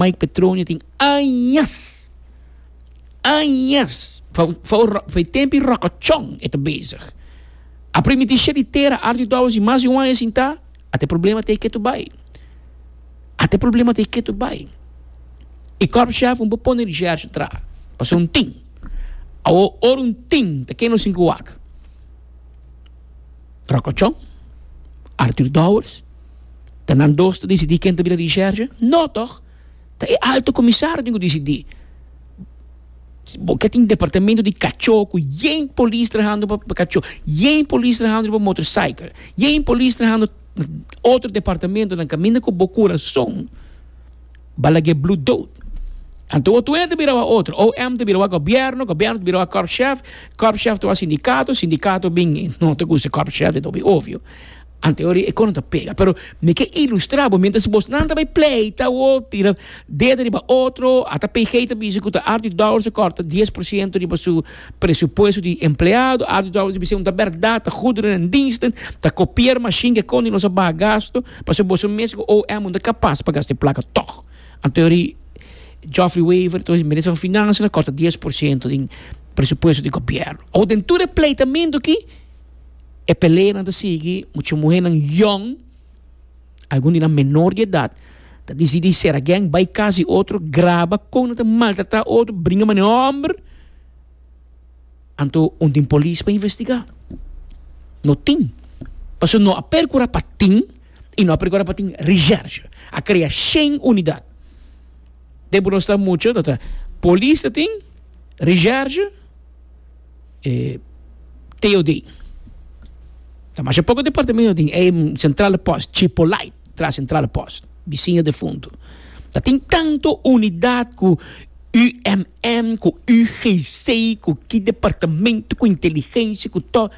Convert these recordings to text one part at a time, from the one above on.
Mike Petronio tin añas, añas, for e tempi rokochon e ta bezig. A primiti sheri tera Arthur Dowers i mas di un aña sintá, a ta e problema ta e ketu bai. A ta e problema ta e ketu bai. E kòrpschèf un por pone di Gersha atrá, pasobra un tin. Awor ora un tin ta keno sin ku wak. Rokochon, Arthur Dowers, ta nan dos ta disidí ken ta bira Richège? No tòg! Ta e Alto Komisario den ku disidí. Si bo ke tin departamentu di kachó ku yen polis trahando pa kachó, yen polis trahando pa motorcycle, yen polis trahando otro departamentunan kaminda ku bo kurason, Balaguer Blue dood. Anto otro hende ta bira wak otro. OM ta bira wak gobierno, gobierno ta bira wak korpschef, korpschef ta wak sindicato, sindicato bin no ta gusta korpschef de Toby obvio. Anto e ora e cosa no ta pega. Pero mi ke ilustra bo mientras bosnan ta bay pleita o tira dedo riba otro, ata PG ta bisa cu ta Artie Dowers ta corta dies por ciento riba su. Presupuesto di empleado, Arthur Dowding a bisa un ta berdad, ta goederen en diensten, ta copier machine ke konden nos a baha gasto, pasobra boso mes ku OM no ta kapas pa gasta e plaka tog. Anto yori Geoffrey Wever, entonces Minister van Finansianan a korta dies por siento den presupuesto di Gobierno. Awor den tur e pleitamentu aki e peleanan ta sigui, mucha muhernan yòn, Algun di nan menor di edat ta disidí sera gèng, bai kas di otro, graba kon nan ta maltratá otro, bringa manera hòmber. Anto un tin polis pa investigá? No tin. Pasobra no a perkurá pa tin i no a perkurá pa tin recherche. A krea shen unidat. Den p'e nos ta mucha ta ta polis ta tin, recherche. e TOD. Ta masha poko departamento tin e centrale post, Chipolai, tras centrale post, bisiño defuntu. Ta tin tanto unidad cu UMM, cu UGC, cu ki departamento, cu inteligencia, cu to.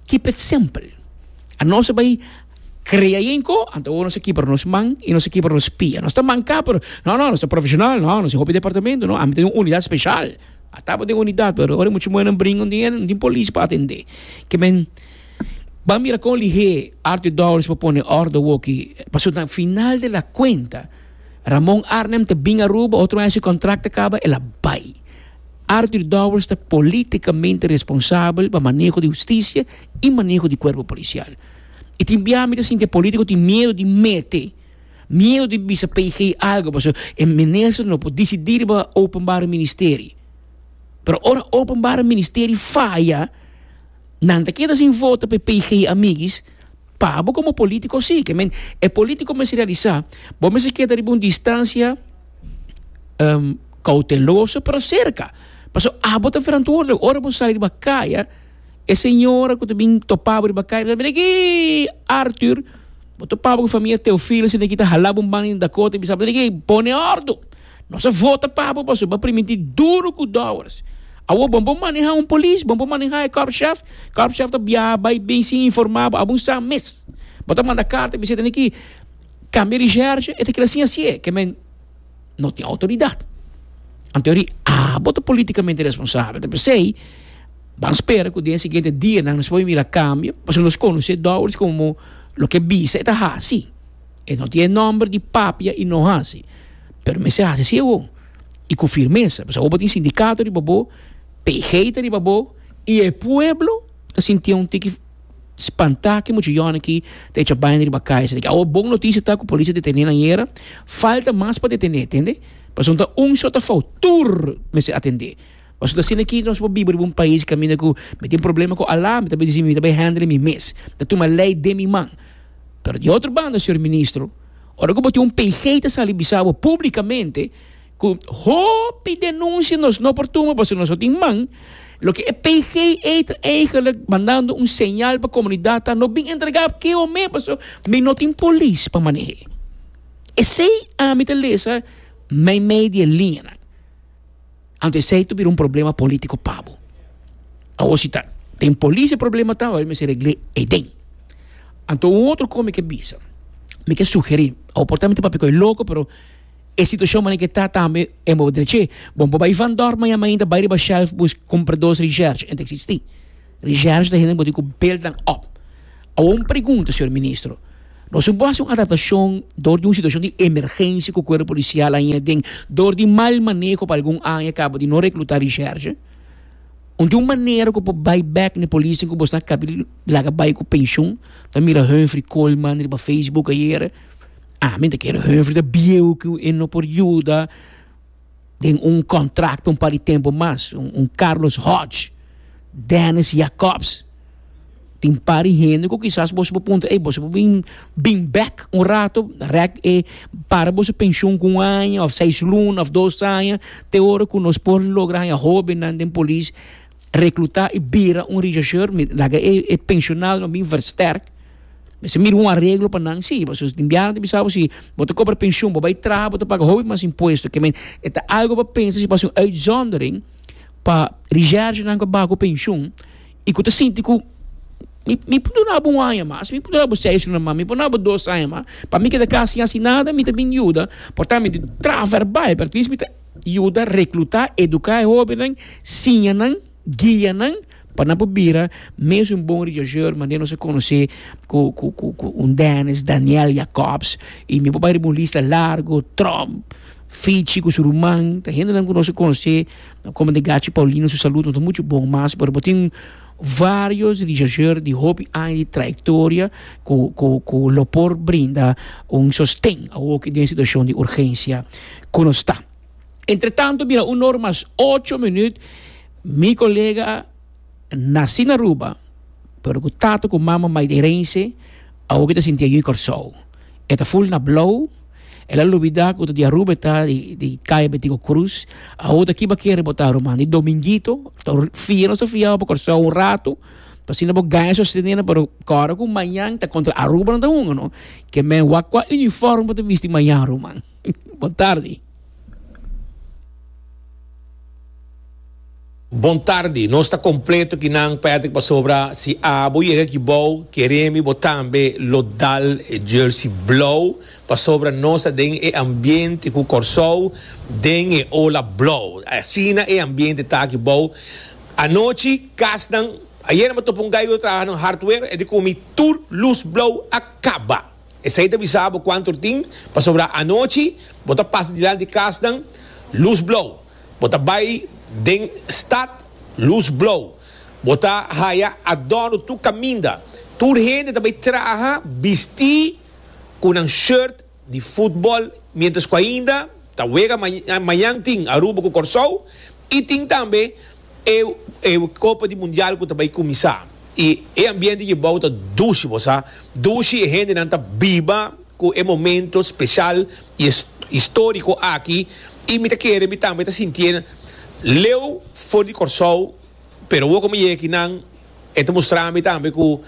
Keep it simple. A nos a bay crea e enco, anto awor nos a kibra nos man y nos a kibra nos pia. Nos ta manca pero, no, no, nos ta profesional, no, nos tin hopi departamento, no, ami ta den un unidad special. A taba den unidat pero ora e mucha muhernan bringa no tin polis pa atende ke men ban mira kon lihé Arthur Dowers pa pone orde awoki pasobra final de la kuenta Ramon Arnem ta bin Aruba otro aña su kontrakt ta kaba el a bai Arthur Dowers ta politikamente responsabel pa maneho di hustisia i maneho di kuerpo polisial i tin bia mi ta sinti e politiko tin miedu di mete. Miedu di bisa PG algo pasobra e minister no por dicidi riba openbare ministerie. Pero ora openbare ministerie faya nan ta keda sin voto p'e PG amiguis, pa bo como politico si. Ke men e politico mester realisa bo mester keda riba un distancia cauteloso pero cerca pasobra abo ta verantwoordelijk. Ora bo sali riba kaya. E señora cu ta bin topabo riba cai, ta bini aki, Arthur, bo topabo cu famia Teofilo asina aki, ta halabo un banda den Dakota, bisabo, bini aki, pone ordo, nos a vota pa bo, pasobra bo a primintí duru cu dowers, awor bon por maneha un polis, bon por maneha e korpschef, korpschef ta biaha bai bin sin informa bo, abo un sa mes, bo ta manda carta, bisita, bini aki, cambia di sherge, e ta kere sin hasié, ke men. no tin outoridat. Anto eri abo ta politikamente responsabel, ta p'esei ban spera ku den e siguiente dianan nos por mira kambio, pasobra nos konosé Doris komo loke e bisa e ta hasi. E no tin e nòmber di papia i no hasi, pero mester hasi asi awor i ku firmesa, pasobra awor bo tin sindikato riba bo, PG ta riba bo i e pueblo ta sintié un tiki. spantá ki mucha yònen aki ta echa baina riba kai esei. Awor bon notisia ta ku polis a detené nan yera, falta mas pa detené, tende? Pasobra ta un short a fout, tur mester atendé. Pasobra ta asina aki nos por biba riba un pais kaminda ku mi tin problema ku Allah, mi ta bai disi mi ta bai hèndele mi mes, mi ta tuma lei den mi man. Pero di otro banda, señor Ministro, ora ku bo tin un PG ta sali bisa bo públikamente, Cu hopi denuncie nos no por tuma pasobra nos no tin man, loke e PGE ta eigenlijk mandando un señal pa comunidad ta no bin entrega ke homen pasobra mi no tin polis pa manehe. Esey ami ta lesa mei mei di e liñanan. Anto esey ta bira un problema politico pa bo. Awor si ta den polis e problema ta, awor mester regle eden. Anto un otro con mi ke bisa, mi ke sugeri, awor por ta mi ta papia cu e loco pero, E situacion manera ke ta tambe e moda den che. Bon por bai van dor mañan mainta bai riba shelf bus compra dos reserche en ta existi. Reserche ta hende bo tin cu build nan op. Awo un pregunta señor ministro, nos tin por haci un adaptacion door di un situacion di emergencia cu cuerpo policial a hia den door di mal maneho pa algun aña caba di no recluta reserche? Un tin un manera cu por bai back ne policenan cu bo sa caba di laga bai cu pensioen? Ta mira Humphrey Coleman riba Facebook ayere. Ah, mi ta kere Humphrey ta bieu ku e no por yuda den un kontrakto un par di tempu mas. Un Carlos Hodge, Dennis Jacobs, tin un par di hende ku kisas boso por puntra, ey, boso por bin bin bèk un rato, rèk e para boso penshun ku un aña òf seis luna òf dos aña, te ora ku nos por logra haña hóbennan den polis, reklutá i bira un richaucheur, mi laga e penshunado nan bin verstèrk Mester mira un areglo pa nan si, pasobra si tin biaha nan ta bisa bo si bo ta kobra penshon, bo bai traha bo ta paga hopi mas impuesto. Ke men e ta algu pa pensa si bo ta hasi un uitzondering pa reservenan ku a baku penshon i ku ta sinti ku mi mi por duna bo un aña mas, mi por duna bo seis luna mas, mi por duna bo dos aña mas. Pa mi ke ta kasi hasi nada, mi ta bin yuda por tambe di traha verbal, pero atis mi ta yuda rekluta, eduka e hobennan, siña nan. guia nan pa nan por bira mes un bon religioso manera nos a conoce cu cu cu cu un Dennis Daniel Jacobs y mi por bay riba un lista largo Trump Fichi cu su ruman ta hendenan cu nos a conoce no como ta Gachi Paulino su salud no ta mucho bon mas pero bo tin varios religioso di hopi aña di trayectoria cu cu cu lo por brinda un sosten awoke den situacion di urgencia cu nos ta. Entre tanto bira un or mas ocho minüt mi kolega nasi na Aruba pero ku tata ku mama maiderense awoke ta sinti ayui Kòrsou. E ta ful na blou, el a lubidá ku ta di Aruba e ta, di Kaya Betico Cruz. Awor ta kiba kere bo ta ruman? Di Domingito, ta un fia nos ta fiawo pa Kòrsou un ratu pa asina bo gaña sostenenan pero kòrda ku mañan ta kontra Aruba nan ta hunga no, ke men wakwa unifòrm bo ta bisti mañan ruman. Bon tardi. Bon tardi. Nos ta completo aki nan Patrick pasobra si abo yega aki bao keremi bo tambe lo dal e jersey blauw pasobra nos ta den e ambiente cu Corsou den e ola blauw. Asina e ambiente ta aki bao. Anochi kasnan, ayer me topa un guy cu ta traha na hardware e di comi tur luz blauw a caba. Esei ta bisa bo kuantu tin, pasobra anochi bo ta pasa dilanti kasnan lus blou, bo ta bai den stat lus blou, bo ta haya adorno tur kaminda. Tur hende ta bai traha bistí ku nan shirt di futbòl miéntras ku ainda ta wega mañan tin Aruba ku Kòrsou i tin tambe E Copa di Mundial cu ta bay cuminsa y e ambiente djebao ta dushi, bo sa, dushi. E hendenan ta biba cu e momento special y historico aki y mi ta kere mi tambe ta sintié leu for di Corsou, pero awo cu mi yega aki nan e ta mustrami tambe cu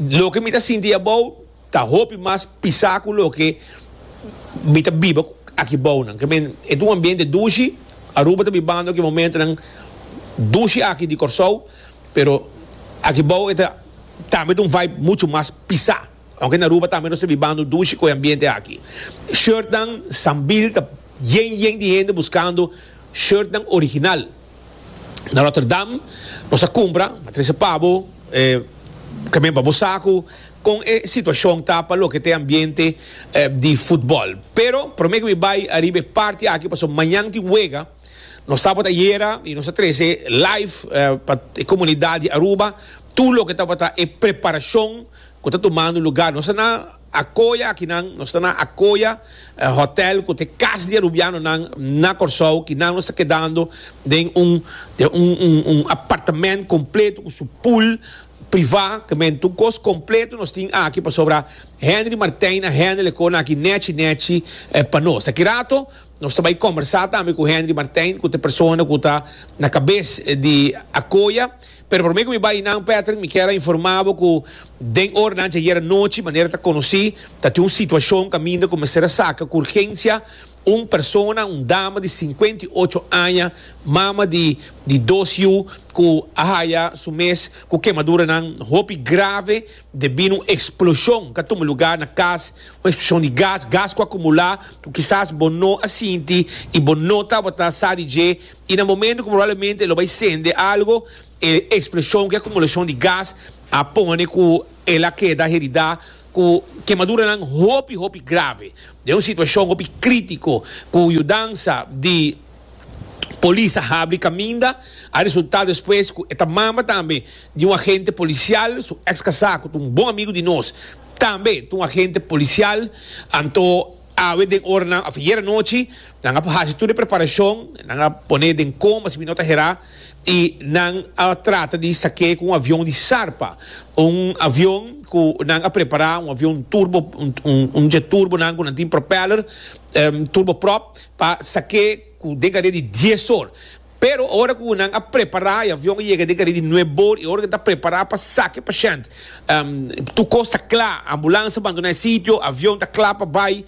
loke mi ta sinti abao. Ta hopi mas pisá ku loke mi ta biba aki bounan. Ke men, e ta un ambiente dushi. Aruba ta bibando ki momentonan dushi aki di Kòrsou, pero aki bou e ta tambe ta un vibe muchu mas pisá. Aunke na Aruba tambe nos ta bibando dushi ku e ambiente aki. Shirtnan, Sambil ta yen yen di hende buskando shirtnan original. na Rotterdam nos a cumpra a trece pabo e camion pa bo sacu con e situacion ta pa loke ta e ambiente di futbol pero prome cu mi bay ariba e parti aki pasobra mañan tin wega nos tabata ayera y nos a trece live pa e comunidad di Aruba tur loke tabata e preparacion cu ta tumando lugar nos a na Akoya akinan, nos ta na Akoya Hotel ku ta e kas di e Rubianonan na Kòrsou, kinan nos ta kedando den un den un un un apartamènt kompleto ku su pool privá, kamente un kos kompleto nos tin aki pasobra Henry Martijn a hende le kona aki nèchi nèchi pa nos. Aki rato nos ta bai kòmbersá tambe ku Henry Martijn ku ta e persona ku ta na kabes di Akoya, pero promé ku mi bai nan Patrick mi kier a informá bo ku Den oranan dje ayera nochi, manera ta conoci, tatin un situacion caminda cu mester a saca cu urgencia un persona, un dama di cincuenta y ocho aña, mama di di dos yu, cu a haya su mes cu kemaduranan hopi grave debido un explosion cu a tuma lugar na cas, un explosion di gas, gas cu a acumula cu kisas bo no a sinti y bo no tabata sa di dje y na momento cu probablemente e lo bay sende algo, e explosion cu e acumulacion di gas, a pone ku el a keda heridá ku kemaduranan hopi hopi grave den un situashon hopi krítiko ku yudansa di polis a habri kaminda a resultá despues ku e ta mama tambe di un agente polisial su ex kasá ku ta un bon amigu di nos tambe ta un agente polisial anto Awe den oranan of ayer anochi nan a por haci tur e preparashon, nan a pone den kom asina no ta herá i nan a trata di sak'é ku un avion di sarpa, un avion ku nan a prepará, un avion turbo, un jet turbo nan ku nan tin propeller, turboprop, pa sak'é ku den kantidad di dies or. Pero ora ku nan a prepará, e avion a yega den Karibi nue bor, i ora ku nan ta prepará pa saka e pashènt, tur kos ta kla, ambulans a bandoná e sitio, avion ta kla pa bai,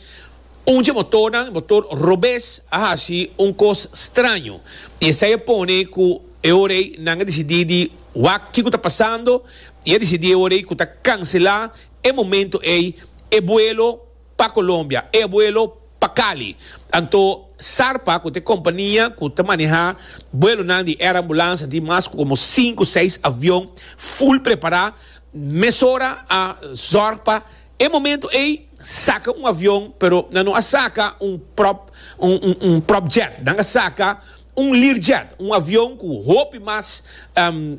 un dje motornan, e motor robes, a hasi un kos straño, i esei a pone ku e ora ei nan a disidí di wak kiko ta pasando, i a disidí e ora ei ku ta kanselá e momentu ei e buelo. pa Colombia, e buelo pa Cali. Anto Sarpa cu ta e compania cu ta maneha buelonan di Air Ambulance di mas como sinku, seis avion full prepara. Mesora a zorg pa e momento ey saca un avion pero nan no a saca un prop un prop jet, nan a saca un Learjet, un avion cu hopi mas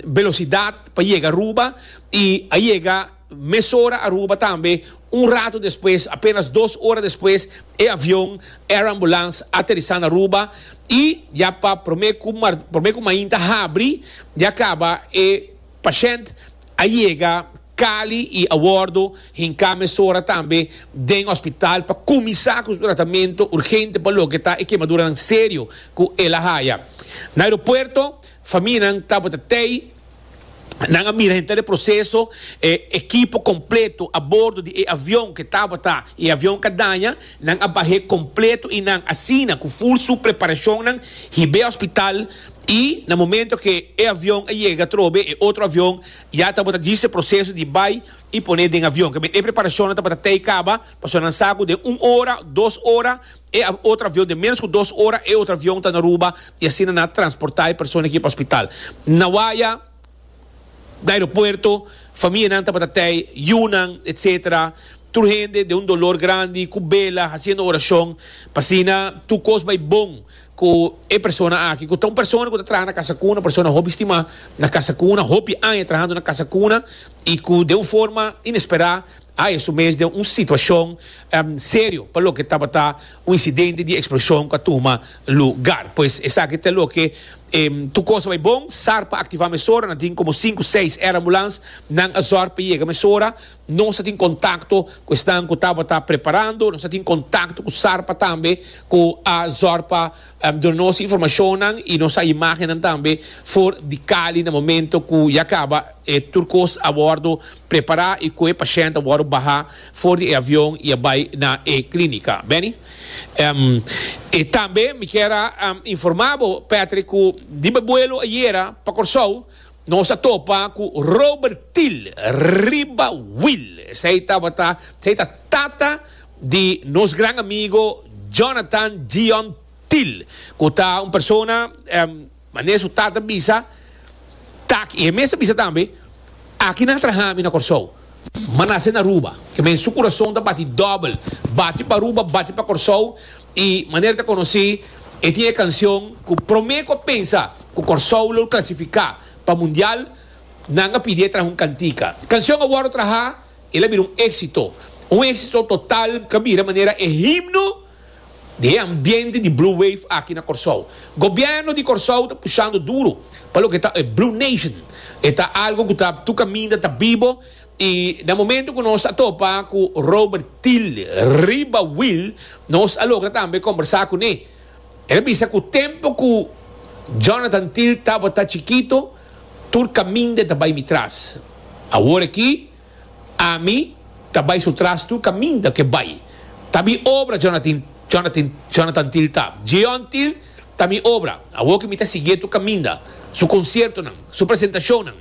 velocidad pa yega Aruba y a yega. Mesora Aruba tambe, un rato despues, apenas dos ora despues, e avion Air Ambulance a aterisa na Aruba y ya pa prome cu prome cu mainta habri ya caba e pashent a yega Cali y awordo hinca mesora tambe den hospital pa cuminsa cu su tratamento urgente pa loke ta e quemaduranan serio cu el a haya. Na aeropuerto, famia nan tabata tey. Nan a mira henter e proseso, e ekipo kompleto a bordo di e avion ke tabata i e avion ka daña, nan a bah'é kompleto i nan asina ku ful su preparashonnan hib'é hospital i na momento ke e avion a yega atrobe e otro avion ya tabata djis e proseso di bai i poné den avion. Kib'é e preparashonnan tabata tei kaba pasobra nan sa ku den un ora, dos ora, E otro avion den menos cu dos ora e otro avion ta na Aruba y asina na transporta e persona aki pa hospital. Na waya, na aeropuerto, famianan tabata tey yunan etc. Tur hende den un dolor grandi cu bela haciendo oracion pa asina tur cos bay bon cu e persona aki cu ta un persona cu ta traha na casa cuna, un persona hopi stima na casa cuna, hopi aña trahando na casa cuna y cu den un forma inespera. a esun mes den un situashon serio pa loke tabata un insidente di eksploshon ku a tuma lugar. Pues esaki ta loke tur kos a bai bon, sar pa aktivá mesora, nan tin komo sinku, seis air ambulans, nan a zòrg pa yega mesora, nos a tin kontakto ku esnan ku tabata preparando, nos a tin kontakto ku sarpa tambe ku a zòrg pa duna nos informashonnan i nos a imágennan tambe for di Cali na momento ku ya kaba tur kos a bòrdu Prepará i kohe pashènt a wòrdu baha for di e avion i a bai na e klínika. Benny, Em, i tambe mi kier a informá bo, Patrick, ku riba e buelo ayera pa Kòrsou nos a topa ku Robert Thiel riba Wil. Esei tabata, esei ta tata di nos gran amigo Jonathan Gion Thiel, ku ta un persona, em, Mane su tata bisa Taki y e mes a bisa tambe, Aki nan a traha mi na Corsou. Ma nace na Aruba. Ke men su curason ta bati dobel, bati pa Aruba, bati pa Corsou y manera ta conoci e tin e cancion cu prome cu a pensa cu Corsou lo clasifica pa mundial nan a pidi e traha un cantica. Cancion a wordo traha, el a bira un exito. Un exito total ca bira manera e himno. di e ambiente di Blue Wave aki na Kòrsou. Gobièrnu di Kòrsou ta pushando duru pa loke ta e Blue Nation. E ta algu ku ta tur kaminda ta bibo i na momentu ku nos a topa ku Robert Thiel riba wil, nos a logra tambe kombersá kuné. El a bisa ku tempu ku Jonathan Thiel tabata chikitu tur kaminda ta bai mitras. Awor aki. Ami ta bai su trastu kaminda ke bai ta mi obra Jonathin Jonathin Jonathan Thill ta Jeon Thill ta mi obra awor ke mi ta sigui e tur kaminda su konsiertonan su presentashonnan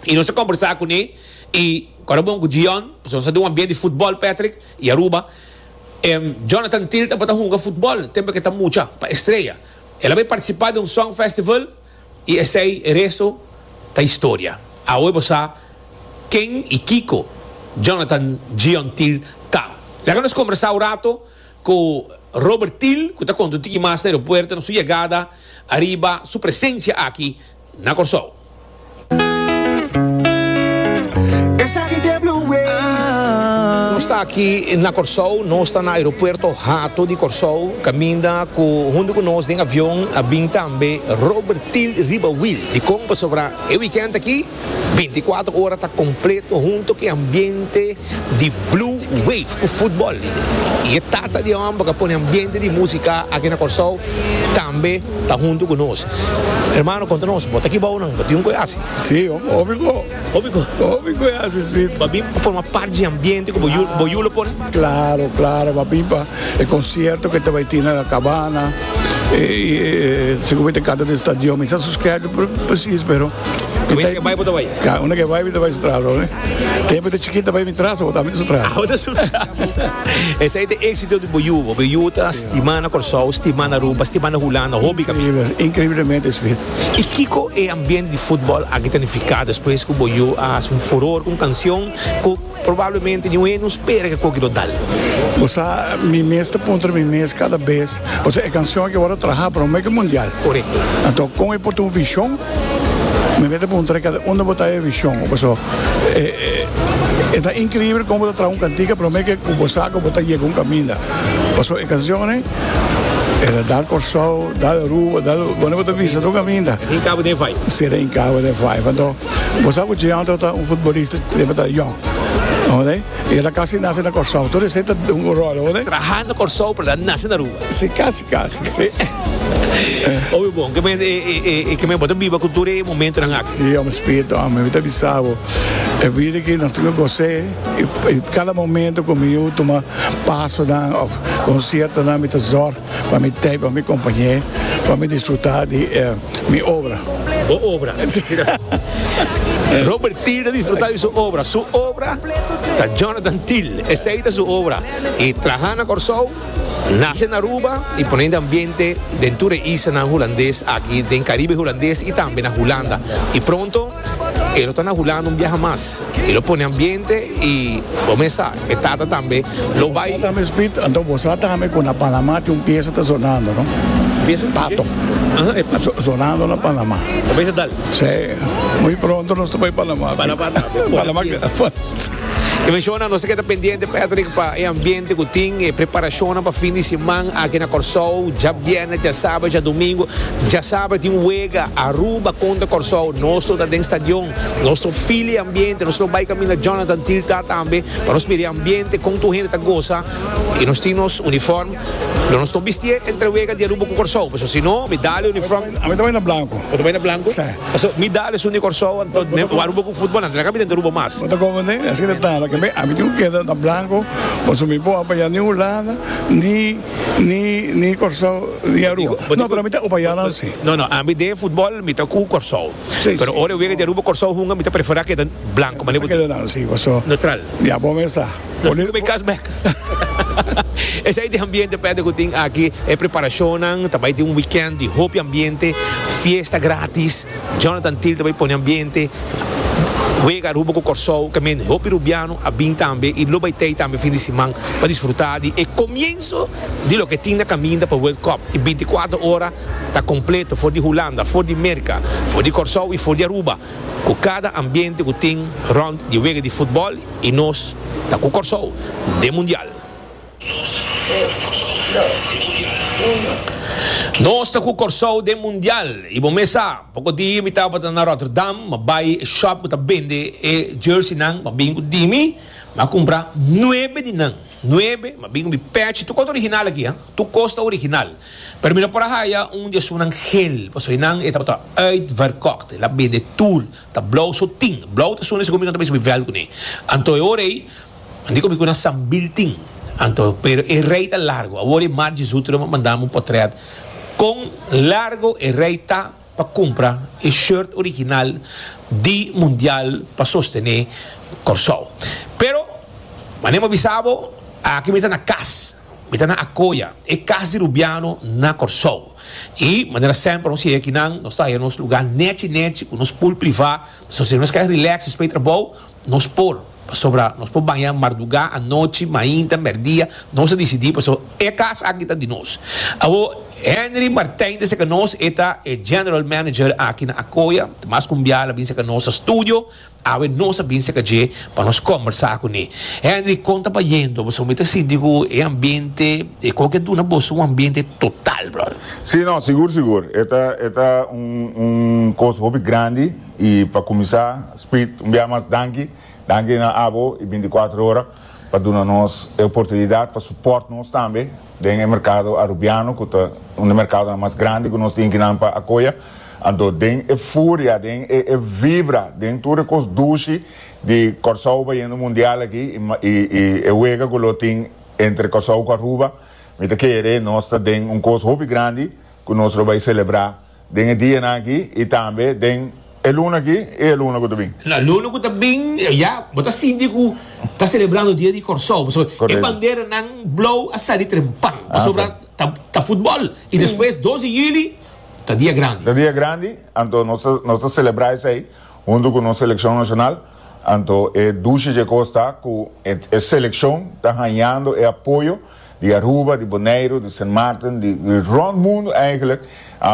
i nos a kombersá kuné i kòrda bon ku Jeon pasobra nos a duna bien di futbòl Patrick i Aruba e Jonathan Thill tambe ta hunga futbòl tempe ke ta mucha pa Estrella el a bai partisipá den un song festival. Y esey rezo ta historia. Awe bo sa ken y kico Jonathan Gion Thill ta. Laga nos combersa un rato cu Robert Thill cu ta conta un tiki mas na aeropuerto, na su yegada ariba su presencia aki na Corsou. Nos ta aki na Kòrsou, nos ta na aeropuerto Hato di Kòrsou, kaminda ku huntu ku nos den avion a bin tambe Robertil Ribawill. Dikon? Pasobra e wikènt aki, binti kuater ora ta kompleto huntu ku e ambiente. di Blue Wave ku futbòl i e tata di e hòmber ku a pone ambiente di músika aki na Kòrsou tambe ta huntu ku nos. Hermano, konta nos, bo ta aki bou nan? Bo tin un ku e hasi? Sí, hopi ku. Hopi ku? Hopi ku e hasi, Smith. Bo a bin pa forma parti di e ambiente ku bo yu lo pone? Klaro, klaro. Bo a bin pa e konsierto ku e ta bai tin na La Cabana, e sigur bo ta kanta den stadion. Mi sa suskrèp presis, pero Wen ke bai bo ta bai? Ka, unda ke bai mi ta bai su tras bo, ne. Te bo ta chikit ta bai mi tras bo ta mi ta su tras. Abo ta su tras. Esei ta exito di bo yu bo. Bo yu ta stima na Kòrsou, stima na Aruba, stima na Hulanda, hopi kaminda. Increíble, increíblemente Smith. I kiko e ambiente di fútbol aki ta nifiká despues ku bo yu a haci un furor ku un canción ku. Probablemente ni un hende no spera ke koki lo dal. Bo sa, mi mes ta puntra mi mes kada bes, pasobra e kanshon aki wòrdu trahá promé ku e mundial. Korekto. Anto, kon e por tin un vishon? Mi mester puntra kada unda bo ta e vishon, paso e, e ta inkribel kon bo ta traha un kantika promé ke ku bo sa ku bo ta yega un kaminda. Paso e kanshonnan e ta dal Kòrsou, dal Aruba, dal, wòrdu bo ta visita un kaminda. Hinkabo den e vaiba. Si e ta hinkabo den e vaiba. Anto. Bo sa cu Gianto ta un futbolista siempre ta young. Oké, y él a casi nace na Corsou. Todo ese ta un rol, oké. Traha na Corsou, pero él nace na Aruba. Sí, casi, casi, sí. Oye, bon, que me, eh, que me bota viva con todo e momentonan aki. Sí, hombre, spirito, hombre, mi ta bisa bo. E vida aquí nos toca gozar y cada momento cu mi tuma pasonan of conciertonan mi ta zorg pa mi tei pa mi compañe pa mi disfruta di e mi obra. Bo obra. Robert Thiel ta disfruta di su obra. Su obra ta Jonathan Thiel. Esei ta su obra. I traha na Corsou, nace na Aruba i pone den ambiente den tur e islanan hulandes aki den Caribe hulandes i tambe na Hulanda. I pronto. E lo ta na Hulanda un biaha mas. E lo pone ambiente y bo mes sa, e tata tambe lo bay. Bo sa tambe Speed, anto bo sa tambe cu na Panama tin un pieza ta sonando, no? Pieza? Pato. Aha, e pato. Sonando na Panama. Ta bay sa dal? Sí. Muy pronto nos ta bay Panama. Panama ta. Panama. E menshonan nos a keda pendiente Patrick pa e ambiente cu tin, e preparashonnan pa fin di siman aki na Corsou, dja biernes, dja sabado, dja domingo, dja sabado tin wega Aruba contra Corsou, nos lo ta den stadion, nos lo feel e ambiente, nos lo bay caminda Jonathan Tiltar tambe pa nos mira e ambiente con tur hende ta goza y nos tin nos uniform. Lo nos no bistié entre wega di Aruba ku Kòrsou paso si no mi dale un uniform. A mi ta bai na blanku. Bo ta bai na blanku? Sí. Paso mi dale esun di Kòrsou anto den wan Aruba ku futbol nan ta na kami den Aruba mas. Bo ta komoné e asina ta lo ke mi a mi tin ku keda na blanku paso mi bo apayá ni Hulanda ni ni ni Kòrsou ni Aruba. No pero mi ta opayá nan si. No no a mi den futbol mi ta ku Kòrsou pero ora e wega di Aruba Kòrsou hunga mi ta preferá keda blanku. Bo ta keda nan si paso. Neutral. Ya bo mester sa. Lo sigue bay cas bek. Esei ta e ambiente pende cu tin aki. E preparacionnan ta bay tin un weekend di hopi ambiente, fiesta gratis. Jonathan Thiel ta bay pone ambiente. Wega Aruba cu Corsou caminda. Hopi Rubiano a bin tambe y lo bay tey tambe fin di siman pa disfruta di e comienzo di loke tin na caminda pa World Cup. E binticuater ora ta completo for di Hulanda, for di Merca, for di Corsou y for di Aruba. ku kada ambiente ku tin rònt di wega di futbòl i nos ta ku Kòrsou den Mundial. Nos ta ku Kòrsou den Mundial i bo mes sa, poko dia mi tabata na Rotterdam, m'a bai e shòp ku ta bende e jerseynan, m'a bin ku Dimi, m'a kumpra nuebe di nan. Nuebe, ma bin bi pèchi. Tur kos ta original aki, ha. Tur kos ta original. Pero mi no por a haya un di esunnan gel, pasobra einan e tabata uitverkocht. El a bende tur. Ta blou so tin. Blou ta suna siki'o mi no ta bisa mi vèlt kuné. Anto e ora ei, mi di ku mi ku nan sambil tin. Anto, pero e rei ta largo. Awor e Margie Zuterman a mandami un potrèt kon largo e rei ta. pa cumpra e shirt original di Mundial pa sostene Corsou. Pero, mane bo bisa bo, aki mi ta na cas, mi ta na Acoya, e cas di Rubiano na Corsou. Y, manera semper nos yega akinan, nos ta haya nos lugar nechi nechi cu nos pool priva, ta sostene nos cas relax, spray trabou, Nos por, pasobra nos por baña mardugá, anochi, mainta, mèrdia, nos a disidí pasobra e kas aki ta di nos. Awor, Henry Martijn ta serka nos, e ta e General Manager aki na Akoya, ta mas kumbiá el a bin serka nos na studio, awe nos a bin serka dje pa nos kòmbersá kuné. Henry, kon ta bayendo? Pasobra mi ta sinti ku e ambiente, e kon ke duna boso un ambiente total, bròder. Sí, no, sigur, sigur. E ta, e ta un, un kos hopi grandi. I pa kuminsá, Speed, un biaha mas danki. Danki na abo i binticuatro ora pa duna nos e oportunidat pa suport nos tambe den e merkado Arubiano ku ta un di merkadonan mas grandi ku nos tin kinan pa akoya. Anto den e furia, den e vibra, den tur e kos dushi di Kòrsou bayendo mundial aki i e wega ku lo tin entre Kòrsou ku Aruba, mi ta kere nos ta den un kos hopi grandi ku nos lo bai selebrá. Den e dianan aki i tambe den e luna aki i e luna ku ta bin. Na luna ku ta bin, ya bo ta sinti ku ta selebrando dia di Kòrsou, pasobra e Correcto. banderanan blou a sali trempan, pasobra Asai. ta ta futbòl. I despues dos di yuli ta dia grandi. Ta dia grandi, anto nos ta nos ta selebrá esei huntu ku nos selekshon nashonal. Anto e dushi dje kos ta ku e e selekshon ta hañando e apoyo. di Aruba, di Boneiru, di Sint Maarten, di rond mundu eigenlijk,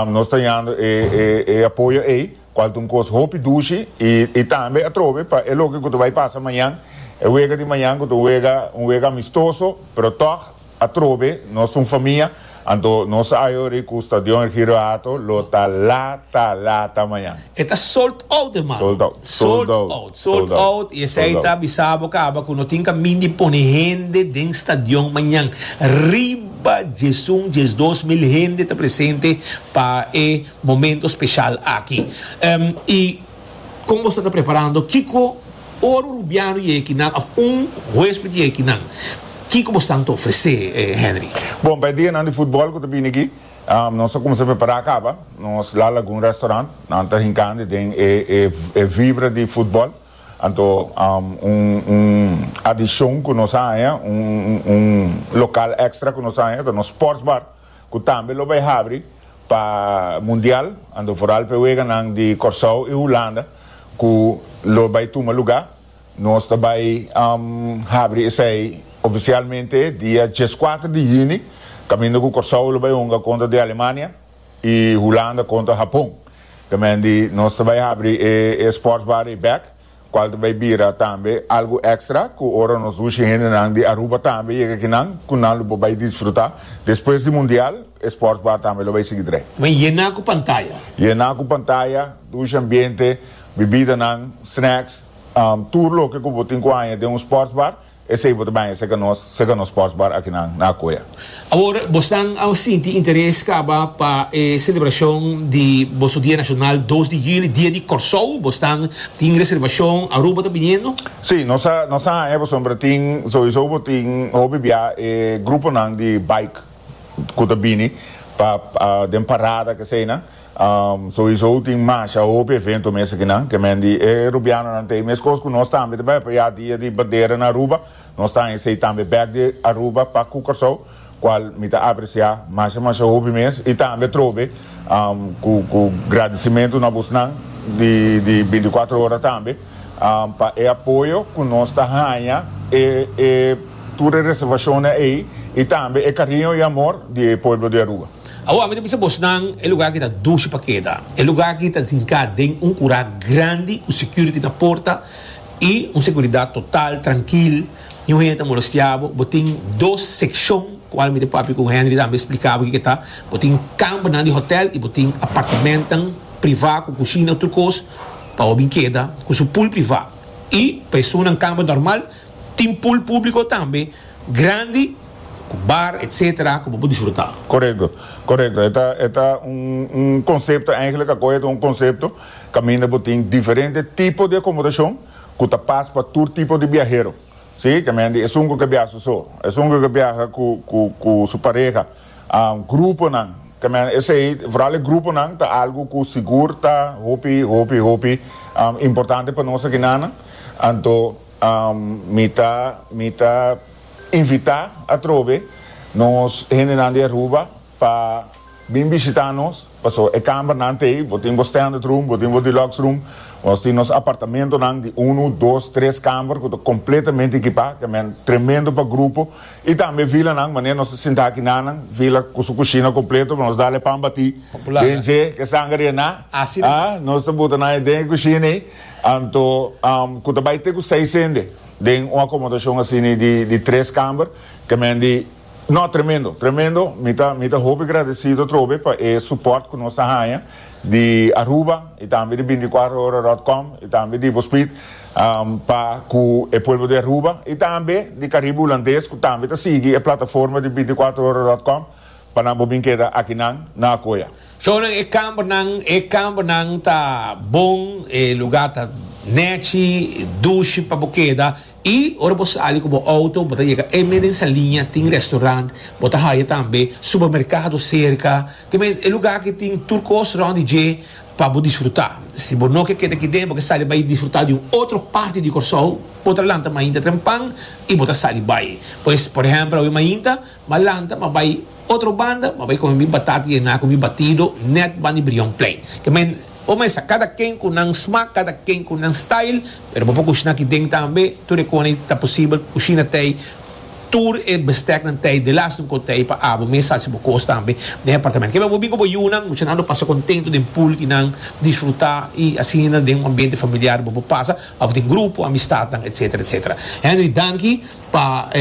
nos ta yando e apoyo ei, cual ta un cos hopi dushi y tambe atrobe pa e loke cu ta bay pasa mañan, e wega di mañan cu ta un wega amistoso, pero tog atrobe nos ta un famia, anto nos a hayo ricu Stadion Ergiro Hato lo ta lata lata mañan. E ta sold out hermano. Sold out. Sold out. Sold out. Sold out. Y esey ta bisa bo caba cu no tin camin di pone hende den stadion mañan. Riba djesun, djesdos mil hende ta presente pa e momento special aki. Em, y con boso ta preparando? Kico, ora un rubiano yega aki nan of un huesped yega aki nan, kico boso tan ta ofrece, eh, Henry? Bon, pa e dianan di futbol cu ta bini aki, Nos a cuminsa prepara a caba, nos la lagun restaurant, nan ta hincandi den e vibra di futbol, anto un adicion cu nos a haña, un local extra cu nos a haña ta nos sports bar cu tambe lo bay habri pa mundial, anto foral pa e weganan di Corsow y Hulanda cu lo bay tuma lugar. Nos ta bai habri esei ofisialmente dia dieskuater di yuni, kaminda ku Kòrsou lo bai hunga kontra di Alemania i Hulanda kontra Hapon. Te mendi nos ta bai habri e sportsbar ei bèk, kual ta bai bira tambe algu èkstra ku ora nos dushi hendenan di Aruba tambe yega akinan, ku nan lo por bai disfrutá. Despues di Mundial e sportsbar tambe lo bai sigui drei. Bai yená ku pantaya. Yená ku pantaya, dushi ambiente, bibidanan, snacks. Tur loke ku bo tin ku haña den un sportsbar, esei bo ta baña serka nos, serka nos sportsbar akinan na Akoya. Awor bosnan a sinti interes kaba pa e selebrashon di boso dia nashonal dos di yuli, dia di Kòrsou? Bo stan tin reservashon Aruba ta biniendo? Sí, nos a nos a haña pasobra bo tin, souiso bo tin hopi bia e gruponan di bike ku ta bini pa den parada, keseinan. Souizo tin masha hopi evento mester ki nan kemen di e Rubianonan ta ei meskos ku nos tambe ta bai pa ya dia di bandera na Aruba. Nos ta haña esei tambe bek di Aruba pa ku Kòrsou kual mi ta apresiá masha masha hopi mes i tambe atrobe ku gradisimentu na abosnan di binti kuater ora tambe. pa e apoyo cu nos ta haña e tur e reservacionnan ey y tambe e cariño y amor di e pueblo di Aruba. Awo, ami ta bisa bosnan, e lugar aki ta dushi pa keda. E lugar aki ta tinca den un cura grandi cu security na porta y un seguridad total, trankil, ni un hende ta molestea bo. Bo tin dos seccion, cual mi ta papia cu Henry tambe splica bo kico ta, bo tin cambernan di hotel y bo tin apartamentonan priva cu cushina y tur cos. pa hopi keda cu su pool privá y pa e zona campo normal tin pool publico tambe grandi cu bar etc. Cu bo por disfruta. Correcto, correcto. E ta, e ta un, un concepto, eigenlijk a coge ta un concepto caminda bo tin diferente tipo di acomodacion cu ta pas pa tur tipo di biahero. Si, caminda e zungo ke biaha su so, e zungo ke biaha cu, cu, cu su pareha. Gruponan, También esey, vooral e gruponan, ta algo cu sigur ta hopi, hopi, hopi importante pa nos aki nan. Anto mi ta, mi ta invita atrobe nos hendenan di Aruba pa bin bishita nos, paso e cambernan ta ey, bo tin bo standard room, bo tin bo deluxe room, nos tin nos apartamentonan di uno, dos, tres camber cu ta completamente ekipa, también tremendo pa grupo. Y tambe vilanan, manera nos ta sinta aki nanan, vila cu su cushina completo pa nos dal e pan bati den dje, e sanger y e na. Nos ta buta nan den e cushina ey, anto cu ta bay te cu seis hende den un acomodacion asina di tres camber, camendi, no, tremendo, tremendo, mi ta, mi ta hopi gradecido atrobe pa e support cu nos ta haya di Aruba y tambe di binticuatro ora dot com y tambe di Ibospid. pa ku e pueblo di Aruba i tambe di Karibe Hulandes ku tambe ta sigui e plataforma di bintiakuater ora dòt kòm pa nan por bin keda akinan na Akoya. So nan e kambernan e kambernan ta bon e lugá ta nèchi dushi pa bo keda i ora bo sali ku bo outo bo ta yega e meda insa liña tin restorant bo ta haya tambe supermerkado serka te meda e lugá aki tin tur kos rònt di dje pa bo disfruta. Si bo no ke keda aki den bo ke sali bai disfruta di un otro parti di Kòrsou, bo ta lanta mainta trempan i bo ta sali bai. Pues, por ehèmpel awe mainta m'a lanta m'a bai otro banda, m'a bai kome mi batata i ená ku mi batido nèt banda di Brion Plein. Ke men, bo mester sa kada ken ku nan smak, kada ken ku nan style, pero bo por kushina aki den tambe, tur e kona i ta posibel kushina tei. Tur e besteknan tei de las nunko tei pa abo mes sa si bo kos tambe den apartamento. Kebe bo bin ku bo yunan, muchanan lo pasa kontento den pool di nan disfruta i asina den un ambiente familiar bo por pasa of den grupo, amistat etc. Etc. Henry danki pa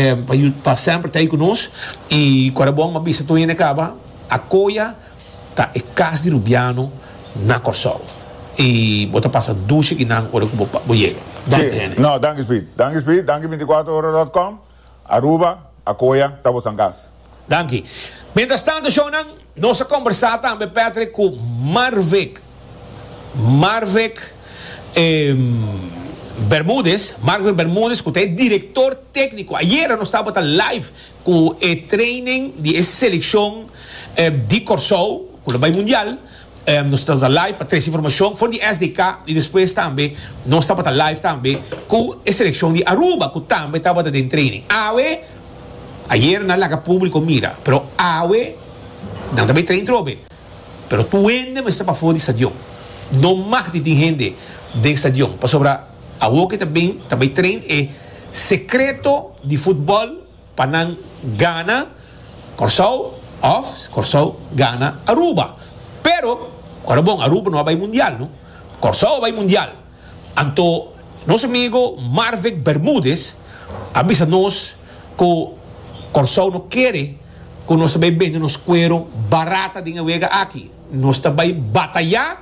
pa semper tei ku nos i kora bon mabista tuen e kaba a koya. Ta e Cas di Rubiano na Kòrsou. I bo ta pasa dusha ki nan ora ku bo bo yega. Don Henry. No, danki Speed. Danki Speed, danki binticuatro ora dot com. Aruba, Acoya, ta boso nan cas. Danki. Mientras tanto, shownan, nos a kombersá tambe, Patrick, ku Marvick. Marvek Bermudez, Marvek Bermudez ku ta e direktor tekniko. Ayera nos tabata live ku e treinen di e selekshon di Kòrsou ku lo bai mundial. Nos tabata live pa tres informashon for di SDK i despues tambe nos tabata live tambe ku e selekshon di Aruba ku tambe tabata den treinen. Awe, ayera nan laga publiko mira, pero awe nan ta bai trein trobe. Pero tur hende mester pafó di stadion. No mag di tin hende den stadion, pasobra awor ke ta bin ta bai train e sekreto di futbòl pa nan gana Kòrsou òf Kòrsou gana Aruba. Pero, kòrda bon, Aruba no a bai mundial no. Kòrsou a bai mundial. Anto nos amigo Marvick Bermudez a bisa nos cu Corsou no kere cu nos ta bay bende nos cuero barata den e wega aki. Nos ta bay bataya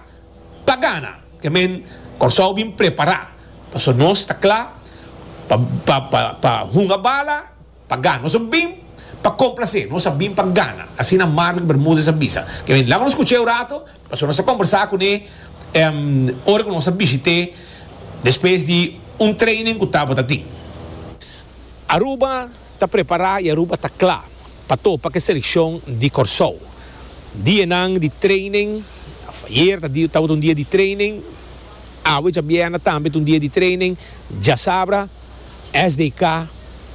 pa gana. Ke men Corsou bin prepara paso nos ta cla pa hunga bala. Pa gana. Nos a bin pa complase. Nos a bin pa gana. Asina Marlon Bermudez a bisa. Kevin, laga nos scuch'é un rato, pasobra nos a combersa cun'é ora cu nos a bishit'é despues di un training cu tabata tin. Aruba ta prepara y Aruba ta cla pa topa cu e seleccion di Corsou. Dianan di training, ayer tabata un dia di training, awe djabiena tambe ta un dia di training, djasabra. SDK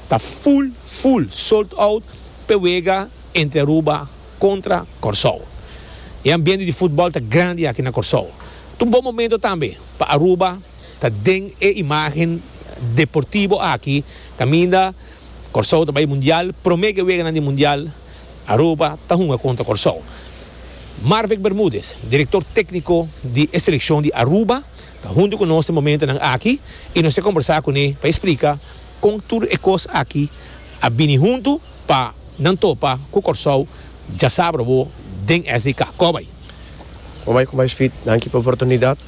ta full full sold out p'e wega entre Aruba kontra Kòrsou. E ambiente di futbòl ta grandi aki na Kòrsou. Ta un bon momento tambe pa Aruba ta den e imágen deportibo aki kaminda Kòrsou ta bai Mundial. Promé ke weganan di Mundial Aruba ta hunga kontra Kòrsou. Marvick Bermudez, direktor tékniko di e selekshon di Aruba, Ta huntu ku nos den momentunan aki i nos ta kombersá kuné pa e splika kon tur e kos aki a bini huntu pa nan topa ku Kòrsou dja sabra bo den SDK. Kòbai. Kòbai, kòbai Speed. Danki pa e oportunidat.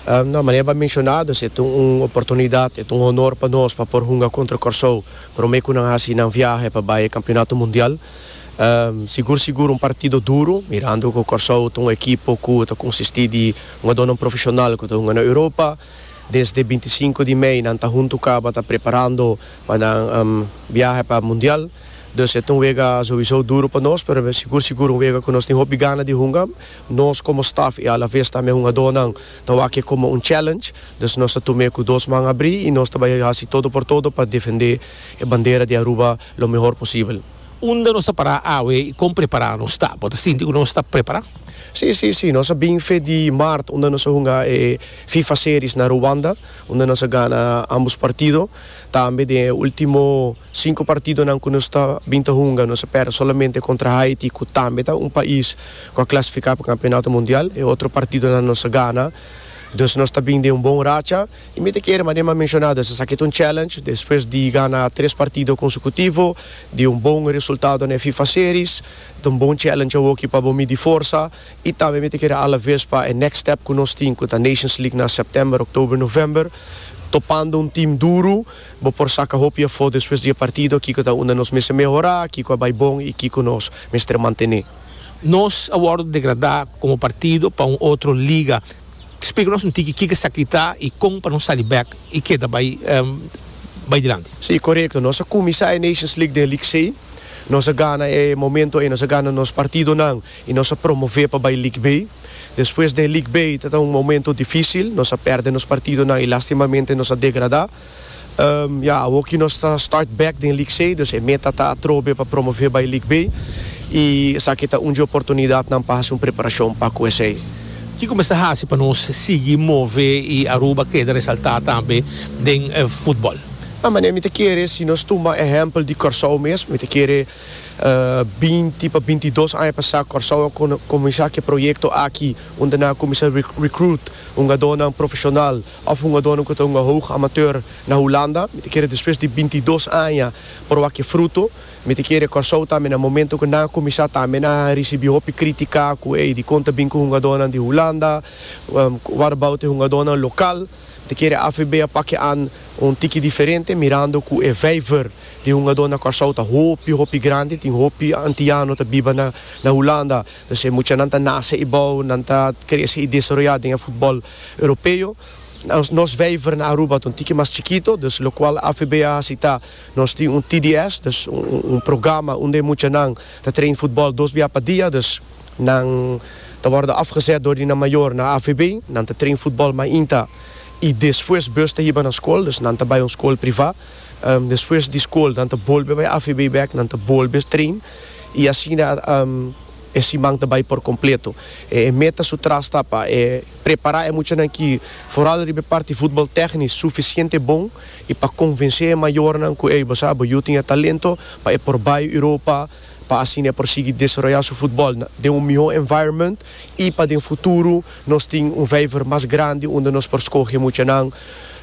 Nau, manera bo a menshoná, dus e ta un oportunidat, e ta un honor pa nos pa por hunga kontra Kòrsou promé ku nan hasi nan viahe pa bai e kampionato mundial. Sigur sigur un partido duru, mirando ku Kòrsou ta un ekipo ku ta konsistí di Hungadó nan profeshonal ku ta hunga na Europa, desde binti sinku di mei nan ta huntu kaba ta preparando pa nan biahe pa mundial. Dus e ta un wega souiso duru pa nos, pero e sigur sigur un wega ku nos tin hopi gana di hunga. Nos komo staf i alavez tambe e hungadónan ta wak'e komo un challenge, dus nos ta tum'e ku dos man abrí i nos ta bai hasi todo por todo pa defendé e bandera di Aruba lo mehor posibel. Unda nos ta pará awe i kon prepará nos ta? Bo ta sinti ku nos ta prepará? Sí, sí, sí. Nos a bin fe di Mart unda nos a hunga e Fifa Series na Ruanda, unda nos a gana ámbos partido. Tambe den e último sinku partidonan ku nos ta bin ta hunga, nos a pèrdè solamente kontra Haiti, ku tambe ta un pais ku a klasifiká pa Kampionato Mundial. E otro partidonan nos a gana. Dus nos ta bin den un bon racha. I mi ta kere ma den mi a menshonado es esaki ta un challenge despues di gana tres partido konsukutivo di un bon resultado na e fifa series ta un bon challenge awoki pa bo midi forsa i tambe mi ta kere alaves pa e next step ku nos tin ku ta nations league na september october november topando un team duru bo por saka hopi afo despues di e partido kiko ta unda nos mester mehora kiko a bai bon i kiko nos mester mantene. Nos a wordo degrada komo partido pa un otro liga. Splica nos un tiki kico esaki ta y con pa nos sali bek y keda bay bay dilanti. Sí, corecto. Nos a cuminsa e Nations League den Liksey. Nos a gana e momento ey, nos a gana nos partidonan y nos a promove pa bay League B. Despues den League B ta ta un momento dificil, nos a perde nos partidonan y lastimamente nos a degrada. Ya, awoki nos ta start back den League C, dus e meta ta atrobe pa promove bai League B, i esaki ta un dje oportunidat nan pa hasi un preparashon pa ku esei. Kiko mester hasi pa nos sigui move i Aruba keda resaltá tambe den futbòl? A manera mi ta kere, si nos tuma ehèmpel di Kòrsou mes, mi ta kere binti pa binti i dos aña pasá Kòrsou a kuminsá ku e proyekto aki unda nan a kuminsá recruit hungadónan profeshonal. Of un adono ku ta un hoog amateur na Hulanda, mi ta kere despues di binti dos aña por wak e fruto. Mi ta kere Kòrsou tambe na momento ku nan a kuminsá tambe nan a risibí hopi krítika ku ey dikon ta bin ku hungadónan di Hulanda, what about e hungadónan lokal. Mi ta kere AVB a pak e an un tiki diferente mirando ku e vijver di hungadó na Kòrsou ta hopi hopi grandi, tin hopi antiano ta biba na Hulanda. Entonces muchanan ta nase ei bou, nan ta krese ei desaroyá den e futbòl. Europeo. Nos vijver na Aruba ta un tiki mas chikito, dus lokual AVB a hasi ta, nos tin un TDS, dus un programa unda e muchanan ta train futbòl dos bia pa dia, dus nan ta wòrdu afgezèt dor di nan mayor na AVB, nan ta train futbòl mainta i despues bus ta hiba na skol, dus nan ta bai un skol privá, despues di skol nan ta bolbe bai AVB bèk, nan ta bolbe train i asina. E siman ta bai por kompleto. E meta su tras ta pa e prepará e muchanan ki, foral riba e parti futbol tèknis, sufisiente bon i pa konvensé e mayornan ku ey bo sa bo yu tin e talento pa e por bai Europa pa asina e por sigui desaroyá su futbol den un mihó environment i pa den futuro nos tin un vijver mas grandi unda nos por skohe muchanan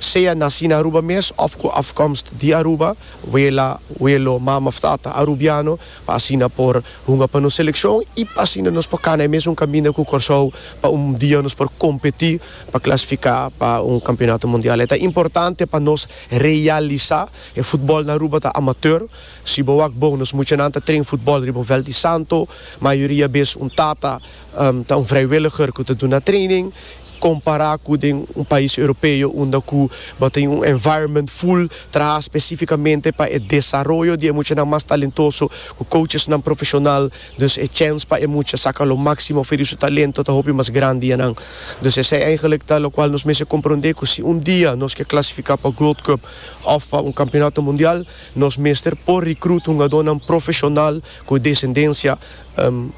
sea nasí na Aruba mes òf ku afkomst di Aruba, wela, welo, mama òf tata arubiano, pa asina por hunga pa nos selekshon i pa asina nos por kana e mesun kaminda ku Kòrsou pa un dia nos por kompetí pa klasifiká pa un kampionato mundial. E ta importante pa nos realisá e futbòl na Aruba ta amatèr. Si bo wak bon, nos muchanan ta tren futbòl riba un vèlt di santo. Mayoria bes un tata ta un vrijwilliger ku ta duna training. Compara cu den un pais Europeo unda cu bo tin un environment full traha specificamente pa e desaroyo di e muchanan mas talentoso, cu coachesnan profesional, dus e chance pa e mucha saca lo maximo fey di su talento ta hopi mas grandi yanan. Dus esey eigenlijk ta locual nos mester comprende cu si un dia nos ke clasifica pa Growth Cup of pa un Campeonato Mundial, nos mester por recruit hungadornan profesional cu descendencia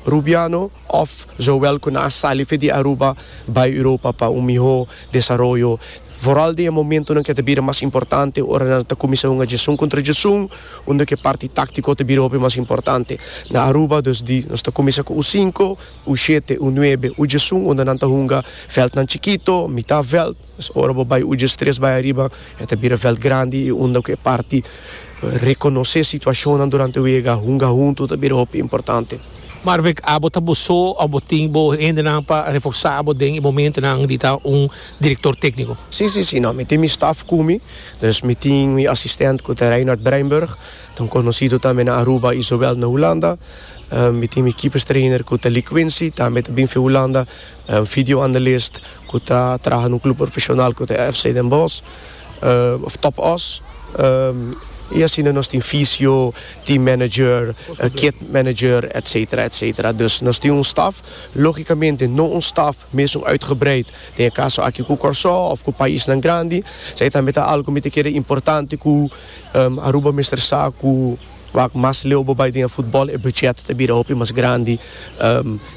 Rubiano, Of Joel cu nan a sali afe di Aruba bay Europa pa un miho desaroyo, vooral den e momentonan cu e ta bira mas importante, ora nan ta cuminsa hunga jesun contra jesun, unda cu e parti tactico ta bira hopi mas importante. Na Aruba dus di nos ta cuminsa cu U cinco, U shete, U nuebe, U jesun, unda nan ta hunga veldnan chikito, mita veld, Nos ora bo bai Uges tres bai ariba e ta bira veld grandi y unda cu e parti reconoce situacionnan durante wega hunga hunto ta bira hopi importante. Marwick, abo ta bo so of bo tin bo hendenan pa reforsa bo den e momentonan di ta un director tecnico? Si, si, si, no, mi tin mi staff cu mi, dus mi tin mi assistent cu ta Reinhard Breinburg, ta un conocido tambe na Aruba y zowel na Hulanda, mi tin mi keepers trainer cu ta Lee Quincy, tambe ta bin for Hulanda, E un video analist ku ta traha na un klub profeshonal ku ta e FC Den Bosch òf Top Os. I asina nos tin fisio, team manager, kit manager etsetera etsetera. Dus nos tin un staf, lógikamente no un staf mesun uitgebreid den e kaso aki ku Kòrsou òf ku paisnan grandi. Sa e tambe ta algu mi ta kere importante ku Aruba mester sa ku Wak mas leu bo bai den e futbòl, e buchèt ta bira hopi mas grandi,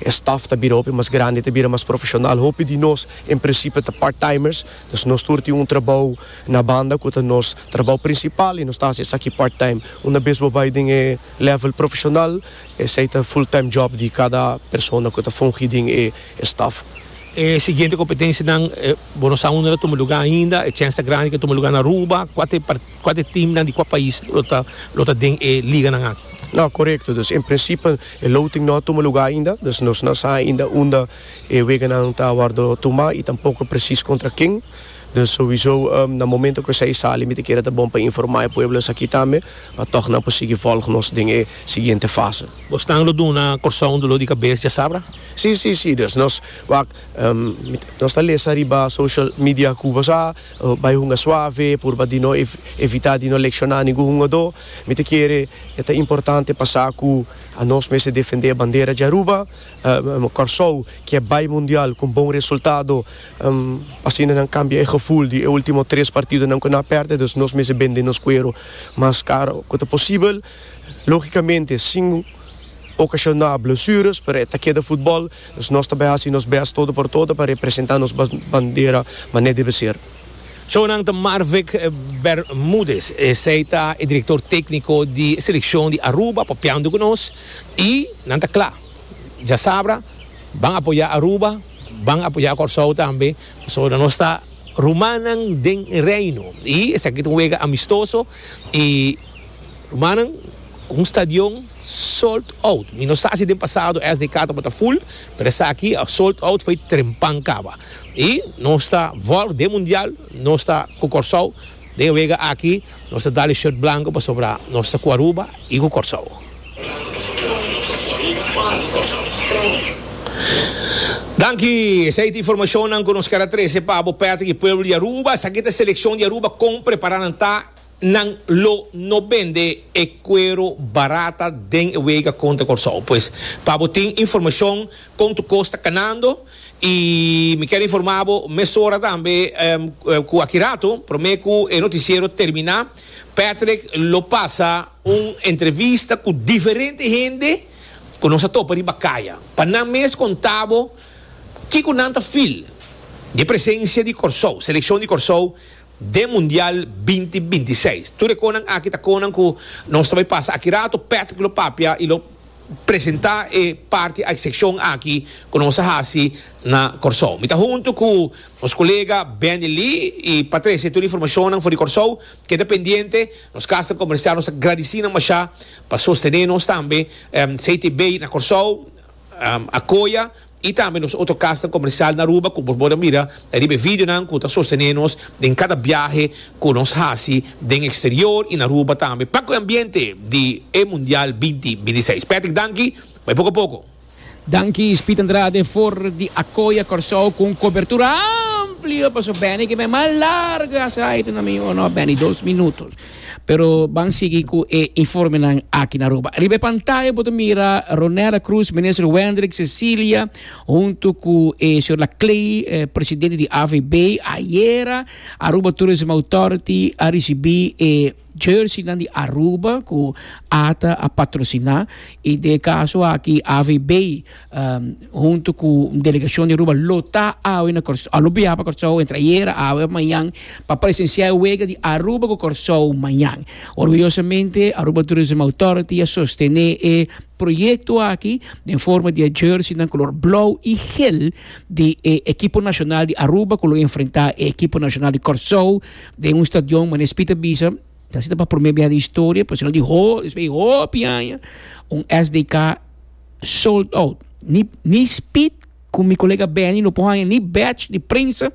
e staf ta bira hopi mas grandi, e ta bira mas profeshonal. Hopi di nos en prinsipio ta part-timers, dus nos tur tin un trabou na banda ku ta nos trabou prinsipal i nos ta hasi esaki part-time. Una bes bo bai den e lèvel profeshonal, esei ta full-time job di kada persona ku ta fungi den e staf. E siguiente kompetensianan, bo no sa unda ta tuma lugá ainda, e chèns ta grandi ku ta tuma lugá na Aruba. Kua ta e. Kua t'e teamnan di kua pais lo ta lo ta den e liganan aki? No, korekto. Dus en prinsipio e loting no a tuma lugá ainda, dus nos no a sa ainda unda e weganan ta wòrdu tumá i tampoko presis kontra ken. Dus souiso na momento ku esei sali mi ta kere ta bon pa informá e pueblo esaki tambe pa tòg nan por sigui vòlg nos den e siguiente fase. Bosnan lo duna Kòrsou un doló di kabes djasabra? Sí, sí, sí. Dus nos wak nos ta lesa riba social media ku bo sa. Bai hunga suave, purba di no evitá di no lekshoná ningun hungadó. Mi ta kere e ta importante pa sa ku anos mester defendé e bandera dje Aruba. Kòrsou ke bai mundial ku un bon resultado, asina nan kambia e gevoel di e último tres partidonan ku nan a pèrdè. Dus nos mester bende nos kueru mas karo ku ta posibel. Lógikamente, sin Ocasioná blesures, pero e ta keda futbol, dus nos ta bai haci nos best todo por todo pa representá nos bandera mané debe ser. Shownan ta Marvick Bermudez, esei ta e director tecnico di seleccion di Aruba papiando cu nos y nan ta cla, djasabra ban apoyá Aruba, ban apoyá Corsou tambe, pasobra nos ta rumannan den e Reino y esaki ta un wega amistoso y rumannan. Cu un stadion sold out. Mi no sa si den pasado SDK tabata full, pero esaki a sold out fo'i trempan caba. Y nos ta volg den Mundial, nos ta cu Corsou. Den wega aki nos ta dal e shirt blanco pasobra nos ta cu Aruba y cu Corsou. Danki, esei ta informacionnan cu nos ker a trece pa bo Patrick y pueblo di Aruba. Esaki ta e seleccion di Aruba con prepara nan ta. Nan lo no bende e cuero barata den e wega contra Corsou. Pues pa bo tin informacion con tu cos ta canando y mi ker informa bo mesora tambe cu aki rato prome cu e noticiero termina Patrick lo pasa un entrevista cu diferente hende cu nos a topa riba caya pa nan mes conta bo kico nan ta feel di e presencia di Corsou, seleccion di Corsou. den Mundial binti binti seis. Tur e konan aki ta konan ku nos ta bai pasa aki rato. Patrick lo papia i lo presentá e parti a e sekshon aki ku nos a hasi na Kòrsou. Mi ta huntu ku nos kolega Benny Lee i pa trese tur informashonnan for di Kòrsou. Keda pendiente, nos Kasnan Komersial nos ta gradisí nan mashá pa sostené nos tambe. CTB na Kòrsou. Acoya y tambe nos otro casnan comercial na Aruba cu boso por mira riba e videonan cu ta sostene nos den cada biahe cu nos haci den exterior y na Aruba tambe pa cu e ambiente di e Mundial binti binti seis. Patrick danki, bai poco a poco. Danki Speed Andrade for di Acoya Corsou cu un cobertura amplio pa su bende ki bai mas largo asai tu na mi o no bende dos minutos. Pero ban sigui cu e informenan aki na Aruba. Riba e pantaya bo ta mira Ronella Cruz, Minister Wendrick Cecilia hunto cu e Señor La Clay, Presidente di AVB. Ayera Aruba Tourism Authority a ricibi e jerseynan di Aruba cu ata a patrocina y den e caso aki AVB Um, hunto cu un delegacion di Aruba lo ta awe na Cor-, a lo biaha pa Corsou entre ayer, awe of mañan pa presencia e wega di Aruba cu Corsou mañan. Orgullosamente Aruba Tourism Authority a sostene e proyecto aki den forma di e jerseynan color blauw y geel di e ekipo nacional di Aruba cu lo enfrenta e ekipo nacional di Corsou den un stadion mane Speed a bisa ta sido pa prome biaha den historia, pasobra di ho-, despues di hopi aña un SDK. sold out. Ni ni speed cu mi colega Benny no por haña ni batch di prensa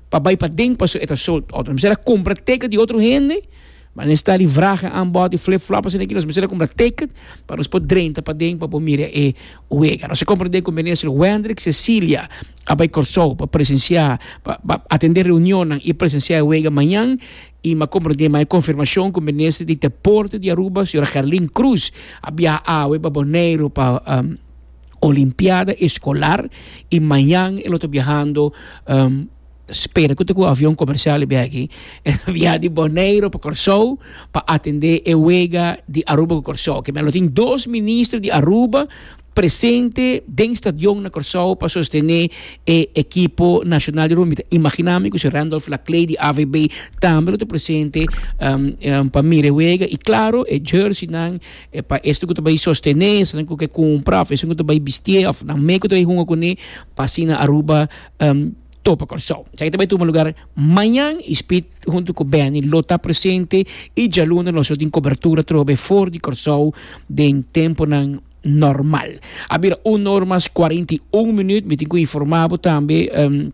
pa bay paden paso e ta sold out. Nos mester a cumpra ticket di otro hende, ma nes ta di vragen aanboud y flip flop asina aki, nos mester a cumpra ticket pa nos por drenta paden pa por mira e wega. Nos a cumpra den cu Minister Wendrick Cecilia a bay Corsou pa presencia pa atende reunionnan y presencia e wega mañan. I m'a comprende mai confirmacion cu Minister di Deporte di Aruba, Sra. Gerlin Cruz, a biaha awe pa Boneiru pa Olimpiada Escolar i mañan e lo ta biahando, spera cu ta cu avion comercial e biaha aki, e ta biaha di Boneiru pa Corsou pa atende e wega di Aruba cu Corsou. Kibera lo tin dos Minister di Aruba. presente den stadion na Kòrsou pa sostené e ekipo nashonal di rumbita. Imaginá mi ku si Randolph Laclay di AVB tambe lo ta presente pa mira e wega i klaro e jèrsinan pa esnan ku ta bai sostené, esnan ku ke kumpra òf esnan ku ta bai bistié òf nan me ku ta bai hunga kuné pa asina Aruba topa Kòrsou. Esaki ta bai tuma lugar mañan i Speed huntu ku Benny lo ta presente i djalunda nos lo tin kobertura trobe for di Kòrsou den tempunan normal. A bira un or mas cuarenta y un minuut. Mi tin cu informa bo tambe. Um,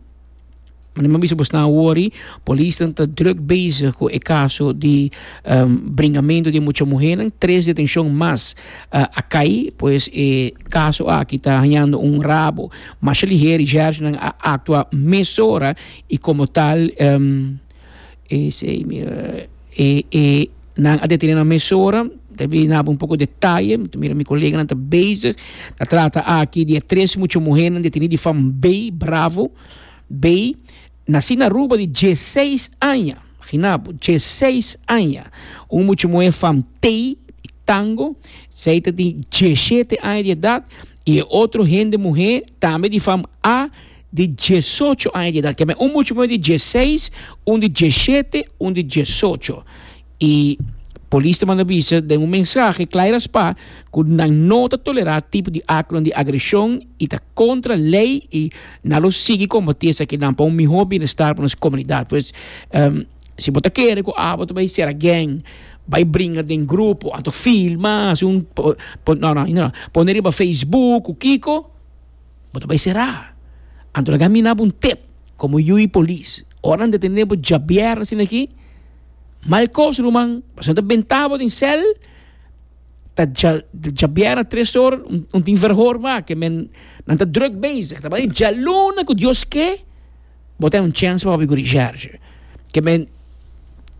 Mi no bisa bos nan worry. Polisnan ta druk bezig cu e caso di um, bringamento di e mucha muhernan. Tres detencion mas uh, a cay. Pues e caso aki ta hañando un rabo. Masha liher y jertnan a actua mesora y como tal, um. E sei mira e e nan a detene nan mesora ta bin haba un poko detaye mi ta mira mi koleganan ta bezig ta trata aki di e tres mucho muhernan detene di fam bay bravo bay nasi na Aruba di dieseis aña imagina bo dieseis aña un mucho muher fam tey y tango esey ta tin dieshete aña di edat y e otro hende muher tambe di fam a Di diesocho aña di edat. Keme un mucha muhé di dieseis, un di dieshete, un di diesocho. I polis ta manda bisa den un mensahe kla i raspá ku nan no ta tolerá tipo di aktonan di agreshon i ta kontra lei i nan lo sigui kombatí esakinan pa un mihó bienestar pa nos komunidat. Pues, si bo ta kere ku abo ta bai ser agen, bai bringa den grupo anto filma, hasi un, no no, pone riba facebook ku kiko, Bo ta bai será. Anto laga mi nabo un tep komo yu i polis. Ora nan detené bo djabièrnè asina aki, mal kos ruman, pasobra nan ta bentá bo den sèl, ta djabièrnè tres or, un tin verhor wak, ke men nan ta drùk bezig, ta bai djaluna ku Dios ke, bo ta hasi un chèns pa papia ku Richardje. Ke men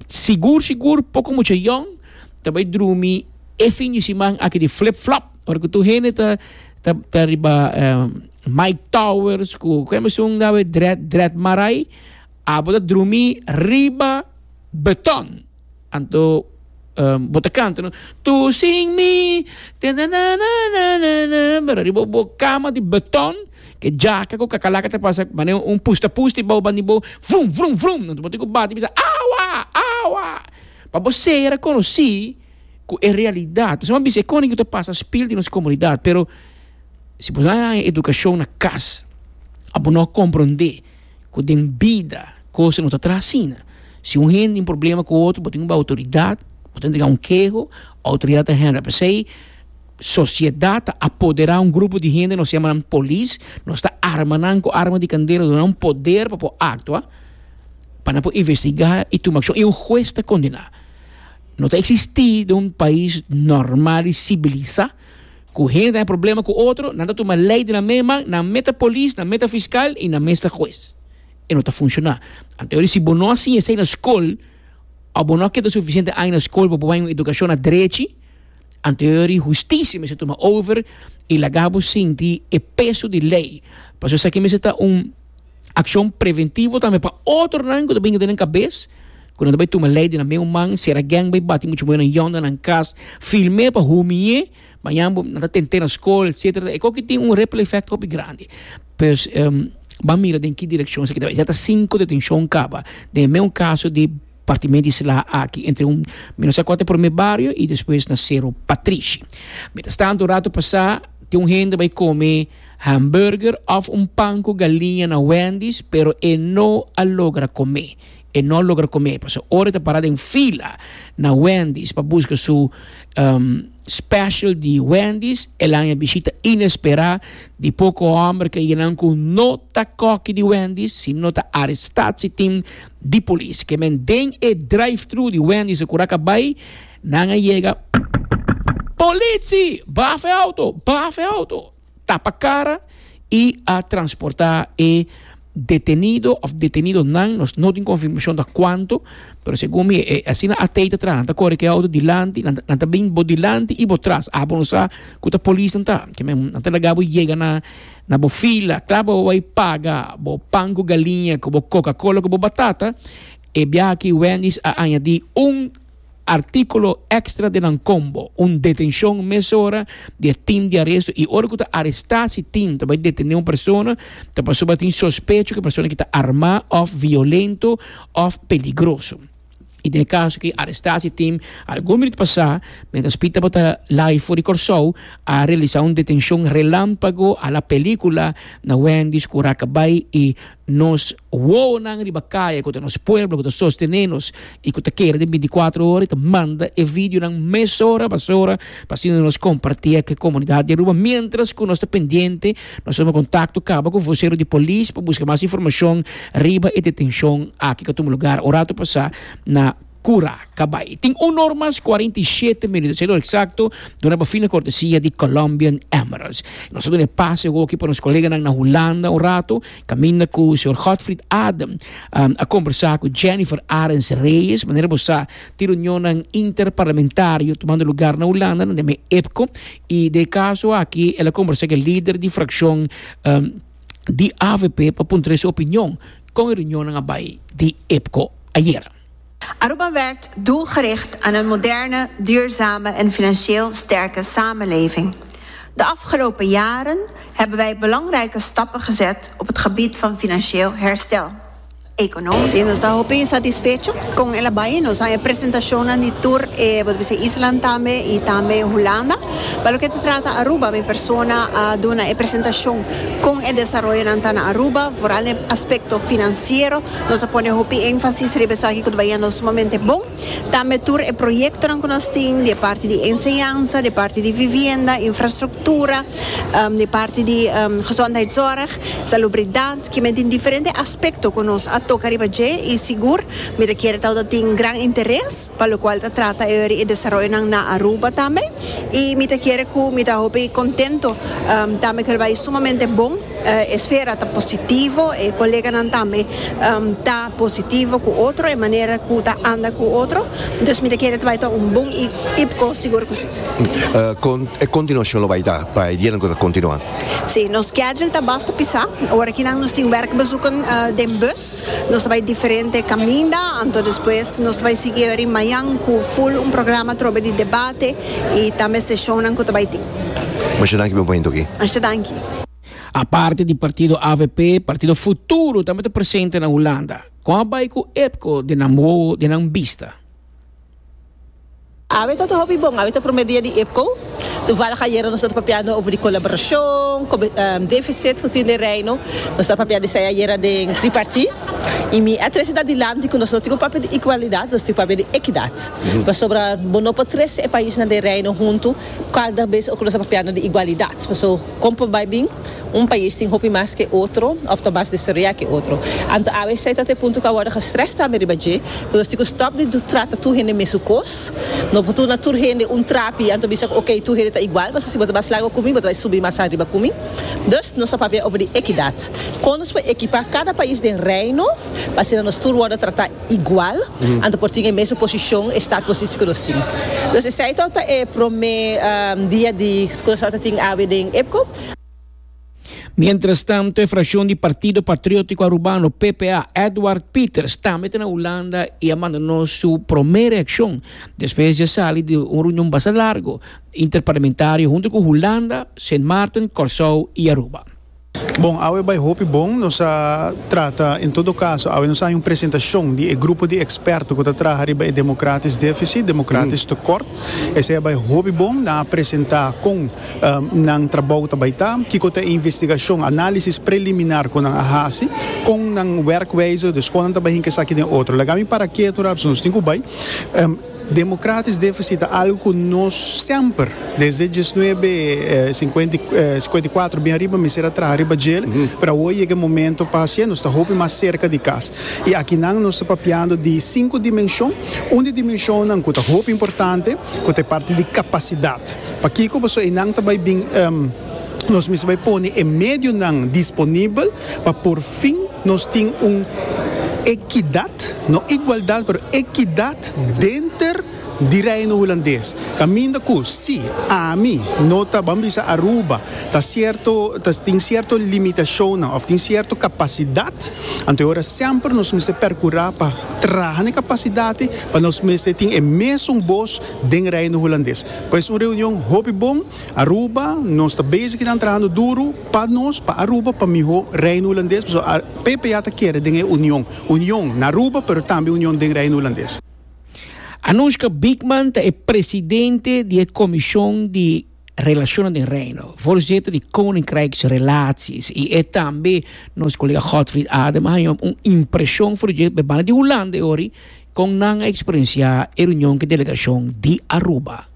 sigur sigur poko mucha yòn ta bai drumi e fin di siman aki di flip flop. Ora ku tur hende ta ta ta riba Mike Towers ku ku esun nawe Dread Dread Marai abo ta drumi riba beton anto bo ta kanta no tu sin mi tananananana pero riba bo kama di beton ke djaka ku kakalaka ta pasa mane un pusta pusta i bou bandi bo vrum vrum vrum anto bo tin ku bati bisa awa awa pa bo sera konosi. ku e realidat nos a bisa e koningu ta pasa spil di nos komunidat pero si bo sa haña edukashon na kas a bo no komprondé ku den bida kos no ta traha asina si un hende tin problema ku otro bo tin ku bai outoridat bo ta entrega un keho outoridat ta hendra pesei sosiedat ta apodera un grupo di hende nos yama nan polis nos ta arma nan ku arma di kandera nos duna nan poder pa por aktua pa nan por investigá i tuma akshon i un hues ta kondena. No ta existí den un pais normal i sibilisá ku hende ta haña problema ku otro, nan ta tuma lei den nan mes man, nan mes ta polis, nan mes ta fiskal i nan mes ta hues. E no ta funshoná. Anto yo di si bo no a siña esei na skol òf bo no a keda sufisiente aña na skol pa bo haña un edukashon na drechi, anto yo di hustisia mester tuma over i laga bo sinti e peso di lei. Pasobra esaki mester ta un. Akshon preventivo tambe pa otronan ku ta binga den nan kabes, ku nan ta bai tuma lei den nan meu man, si era geng bai bati muchu muhernan yonda nan kas, film'é pa humi'é, mañan bo nan ta tent'é na skol etsetera, e koki tin un ripple effect hopi grandi. Pues ban mira den ki direkshon esaki ta bai. Ya ta sinku detenshon kaba den e meu kaso di. Partimente isla aki entre un mi no sa kua ta e prome bario y despues na Sero Patrishi. Mientras tanto un rato pasa ke un hende bai come hamburger of un pan cu galiña na Wendy's pero e no a logra come. E no a logra come paso ora e ta para den fila na Wendy's pa busca su special di Wendy's el a haña e bishita inespera di poco homber ke eyenan cu no ta koki di Wendy's sino ta aresta si tin di polis ke men den e drive thru di Wendy's e kura ka bai nan a yega Politsi! Bafa e auto! Bafa e auto! Tapa kara i a transporta e detenido of detenidonan nos no tin konfirmashon ta kuantu pero segun mi e asina a tei ta traha nan ta kore ku e auto dilanti nan nan ta bin bo dilanti i bo tras abo no sa ku ta polisnan ta ke men nan ta laga bo yega na Na bo fila, kla bo bo bai paga bo pan ku galiña ku bo Coca-Cola ku bo batata, e biaha aki Wendy's a añadí un artíkulo èkstra den nan kombo, un detenshon mesora di e tim di aresto i ora ku ta arestá si tim ta bai detené un persona ta pasobra tin sospecho ku e persona aki ta armá òf violento òf peligroso. I den e kaso ku e arestashonteam algun minut pasá, miéntras Pita por ta lay for di Kòrsou, a realisá un detenshon relámpago a la pelíkula na Wendy's ku raka bai i nos wowonan riba kaya ku ta nos pueblo ku ta sostené nos i ku ta kere den binticuatro ora i ta manda e videonan mesora pasora pa asina nos kompartié ku e komunidat di Aruba miéntras ku nos ta pendiente Nos tuma kontakto kaba ku vosero di polis pa buska mas informashon riba e detenshon aki ku a tuma lugar ora ta pasá na Curacabai. Tin un or mas kuarenta i shete minuto, ser lo eksakto, duna pa fin na kortesia di Colombian Emeralds. Nos ta duna e pase hoki pa nos koleganan na Hulanda un ratu, kaminda ku señor Godfried Adem a kombersá ku Jennifer Arends Reyes. Manera bo sa, tin reunionnan interparlamentario tumando lugar na Hulanda, nan den me EPCO. I den e kaso aki el a kombersá ku e lider di frakshon di avp pa puntra su opinion kon e reunionnan a bai di EPCO ayera. Aruba werkt doelgericht aan een moderne, duurzame en financieel sterke samenleving. De afgelopen jaren hebben wij belangrijke stappen gezet op het gebied van financieel herstel. económico. Sí, nos ta hopi satisfecho con el a bay. Nos han e presentacionnan di tur e bo ta bisa e islan tambe y tambe Hulanda. Pa loke ta trata Aruba mi persona a duna e presentacion con e desaroyonan ta na Aruba, vooral na e aspecto financiero. Nos a pone hopi énfasis riba esaki cu ta bay hendo sumamente bon. Tambe tur e proyektonan ku nos tin di e parti di enseñansa, di e parti di vivienda, infrastruktura, di e parti di gezondheidszorg, salubridat, ki men tin diferente aspekto ku nos a toka riba dje i sigur mi ta kere tabata tin gran interes pa lokual ta trata e ori e desaroyonan na Aruba tambe i mi ta kere ku mi ta hopi kontento tambe ku el bai sumamente bon. E sfera ta positivo, e koleganan tambe ta positivo ku otro, e manera ku ta anda ku otro. Dus mi ta kere ta bai ta un bon ipko, sigur ku si. Kon e kontinuashon lo bai ta pa e dianan ku ta kontinuá? Si, nos skedjel ta basta pisá. Ora kinan nos tin wèrk bezoek den bus, nos ta bai diferente kaminda, anto despues nos ta bai sigui rimañan ku ful un programa atrobe di debate i tambe seshonnan ku ta bai tin. Masha danki, bon momento aki. Masha danki. Aparte di partido avp, partido Futuro tambe ta presente na Hulanda. Kon a bai ku epco den nan wowo, den nan bista? Awe ta ta hopi bon. Awe ta prome dia di epco. Tuvallig ayera nos a ta papia no over di colaboracion, deficit cu tin den Reino. Nos a papia di esai ayera den tripartit. Y mi a trece ta dilanti cu nos no tin cu papia di igualidad, nos tin cu papia di equidad. Pasobra bo no por trece e paisnan den Reino hunto. Cada bes oco nos ta papiando di igualidad, paso con por bay bin, un pais tin hopi mas ke otro of ta mas desaroya ke otro. Anto abc ta ta e punto cu a wordo gestres tambe riba dje, cu nos tin cu stop di do trata tur hende mesun cos, no por turna tur hende un trapi anto bisa cu ok tur hende ta igual, paso si bo ta mas largo cu mi bo ta bay subi mas ariba cu mi. Dus nos ta papia over di equidad, con nos por equipa cada pais den Reino pa asina nos tur wordo trata igual, anto por tin e mesun posishon, e startposisi ku nos tin. Pues esei to ta e promé dia di ku nos tabata tin awe den Epko. Mientrastantu, e frakshon di Partido Patriótiko Arubano, PPA, Edward Pieters tambe ta na Hulanda i a manda nos su promé reakshon despues di a sali di un reunion bastante largo interparlamentario huntu ku Hulanda, Sint Maarten, Kòrsou i Aruba. Bon, awe bai hopi bon. Nos a trata, en todo kaso, awe nos a haña un presentashon di e grupo di eksperto ku ta traha riba e demokratis defisit, demokratis tekort. Esei a bai hopi bon. Nan a presentá kon nan trabou ta bai ta, kiko ta e investigashon, análisis preliminar ku nan a hasi, kon nan wèrkwijze, dus kon nan ta bai hinka esaki den otro. Laga mi para ketu rapidsu, nos tin ku bai. Democratisch deficit ta algo cu nos semper, desde diesnuebe scuenta y cuatro bin ariba mester a traha riba djel, pero awo a yega e momento pa hacié, nos ta hopi mas cerca di cas. Y akinan nos ta papiando di cinco dimension, un di dimensionnan cu ta hopi importante cu ta e parti di capacidad. Pakico? Pasobra eynan ta bay bin. Nos mester bay pone e medionan disponibel pa por fin nos tin un ekidat, no igualdad pero ekidat denter di Reino Hulandes. Caminda cu si ami no ta, ban bisa Aruba, ta cierto, ta tin cierto limitacionnan of tin cierto capacidad, anto e ora semper nos mester percura pa traha n'e capacidadnan pa nos mester tin e mesun boz den Reino Hulandes. Pues un reunion hopi bon. Aruba nos ta bezig y nan trahando duro pa nos, pa Aruba, pa miho Reino Hulandes, pasobra a PPA ta kere den e union, union na Aruba pero tambe union den Reino Hulandes. Anoushka Biekman ta e presidente di e Comision di Relacionen den Reino, voorzitter di Koninkrijksrelaties, y e tambe nos colega Godfried Adem a haña un impresion for dje banda di Hulanda e ori con nan a experiencia e reunion cu e delegacion di Aruba.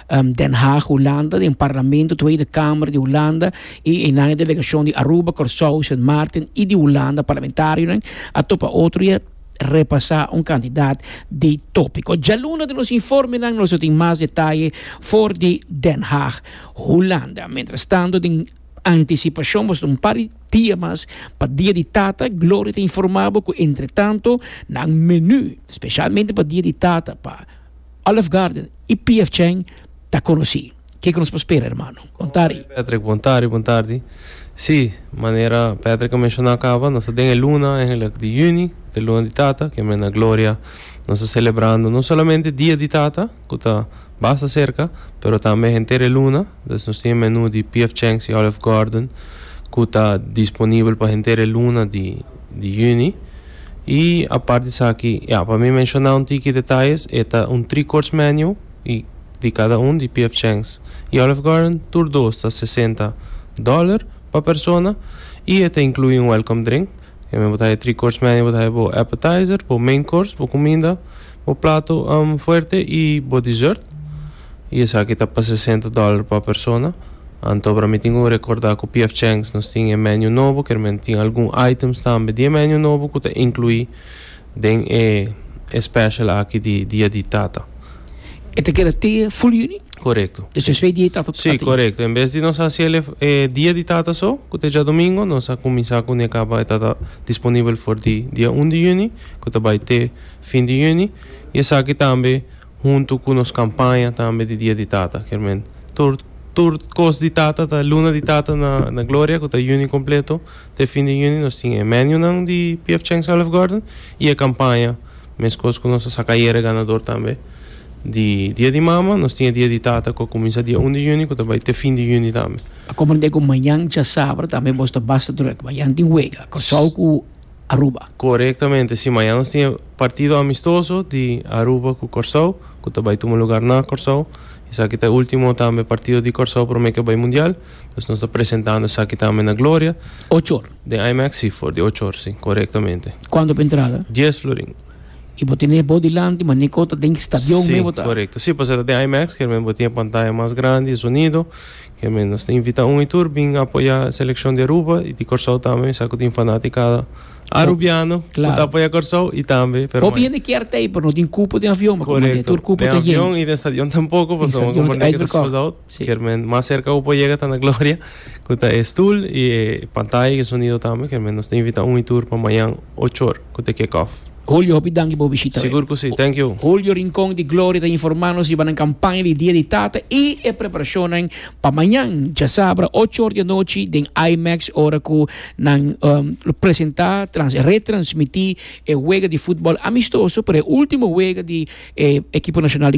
Den Haag, Hulanda, den Parlamento Tweede Kamer di Hulanda i einan e delegashon di Aruba, Kòrsou, Sint Maarten i di Hulanda, parlamentarionan a topa otro i a repasá un kantidat di tópiko. Djaluna den nos informenan nos lo tin mas detaye for di Den Haag, Hulanda. Mientrastanto den antisipashon boso ta un par di dia mas pa Dia di Tata. Gloria ta informá bo ku entretanto nan menú speshalmente pa Dia di Tata pa Olive Garden y PF Chang ta conoci. Kico nos por spera hermano? Bon tardi. Patrick, Bon tardi, bon tardi. Si, manera Patrick a menciona caba, nos ta den e luna eigenlijk di juni, cu ta e luna di tata, cu e mes na Gloria nos ta celebrando no solamente dia di tata, cu ta basta cerca, pero tambe henter e luna. Dus nos tin e menu di PF Chang's y Olive Garden cu ta disponibel pa henter e luna di juni. Y apart di esaki, ya, pa mi menciona un tiki detalles, e ta un three course menu y di cada un di PF Chang's y Olive Garden tur dos ta sesenta dollar pa persona y e ta inclui un welcome drink. E men bo ta haya three course menu bo ta haya bo appetizer, bo main course, bo cuminda, bo plato fuerte y bo dessert. y esaki ta pa sesenta dollar pa persona. Anto para mi tin cu recorda cu PF Chang's nos tin e menu nobo, kermen tin algun items tambe di e menu nobo cu ta inclui den e e special aki di Dia di Tata. E ta keda te Fool Juni? Corecto. Desh despues Dia di Tata ta tin? Corecto, en bes di nos haciel e e Dia di Tata so, cu ta e djadomingo, nos a cuminsa cu ne caba e tata disponibel for di Dia Un di Juni, cu ta bay te fin di Juni, y esaki tambe, Huntu ku nos kampaña tambe di Dia di Tata kier men tur tur kos di tata ta Luna di Tata na na Gloria ku ta Juni kompleto te fin di Juni nos tin e menunan di PF Chang Olive Garden i e kampaña meskos ku nos a saka ayere ganador tambe di Dia di Mama nos tin e Dia di Tata ku a kuminsa dia un di Juni ku ta bai te fin di Juni tambe. A komprendé ku mañan djasaber tambe bos ta basta drùk mañan tin wega Kòrsou ku Aruba. Korektamente si, mañana nos tin e partido amistoso di Aruba ku Kòrsou ku ta bai tuma lugar na Kòrsou. Esaki ta e último tambe partido di Kòrsou promé ke bai mundial. Entonces nos ta presentando esaki tambe na Gloria. Ocho or? Den IMEX si, for di ocho or si, korektamente. Kuantu pa entrada? Dies florin. I bo tene bo dilanti maniku ta den stadion mei bo ta? Si, korekto. Si, pasobra ta den IMEX, kier men bo tin e pantaya mas grandi, e sonido. Keme, nos ta invita un y tur bin apoya seleccion di Aruba y di Corsou tambe, sa cu tin fanaticada Arubiano cu ta apoya Corsou y tambe Peromainan. Hopi hende kier ta ey, pero no tin cupo den avion, mi comand'e. Tur Correcto. cupo Den ta yen. avion y den stadion tampoco, Den pasobra mi stadion ta comand'e ke ta sold uitverkocht. out. Si. Kier men mas cerca cu por yega ta na Gloria, cu ta e stoel y e pantaya y e sonido tambe. Kier men nos ta invita un y tur pa mayan ocho or cu ta kick off. Julio, hopi danki pa bo bishita. Sigur cu si. Thank you. Julio Rincon di Gloria ta informa nos riba nan campaña di Dia di Tata y e preparacionnan pa mañan diasabra ocho ora di anochi den IMAX ora cu nan lo presenta, trans, retransmiti e wega di futbal amistoso, pero e ultimo wega di e ekipo nacional di.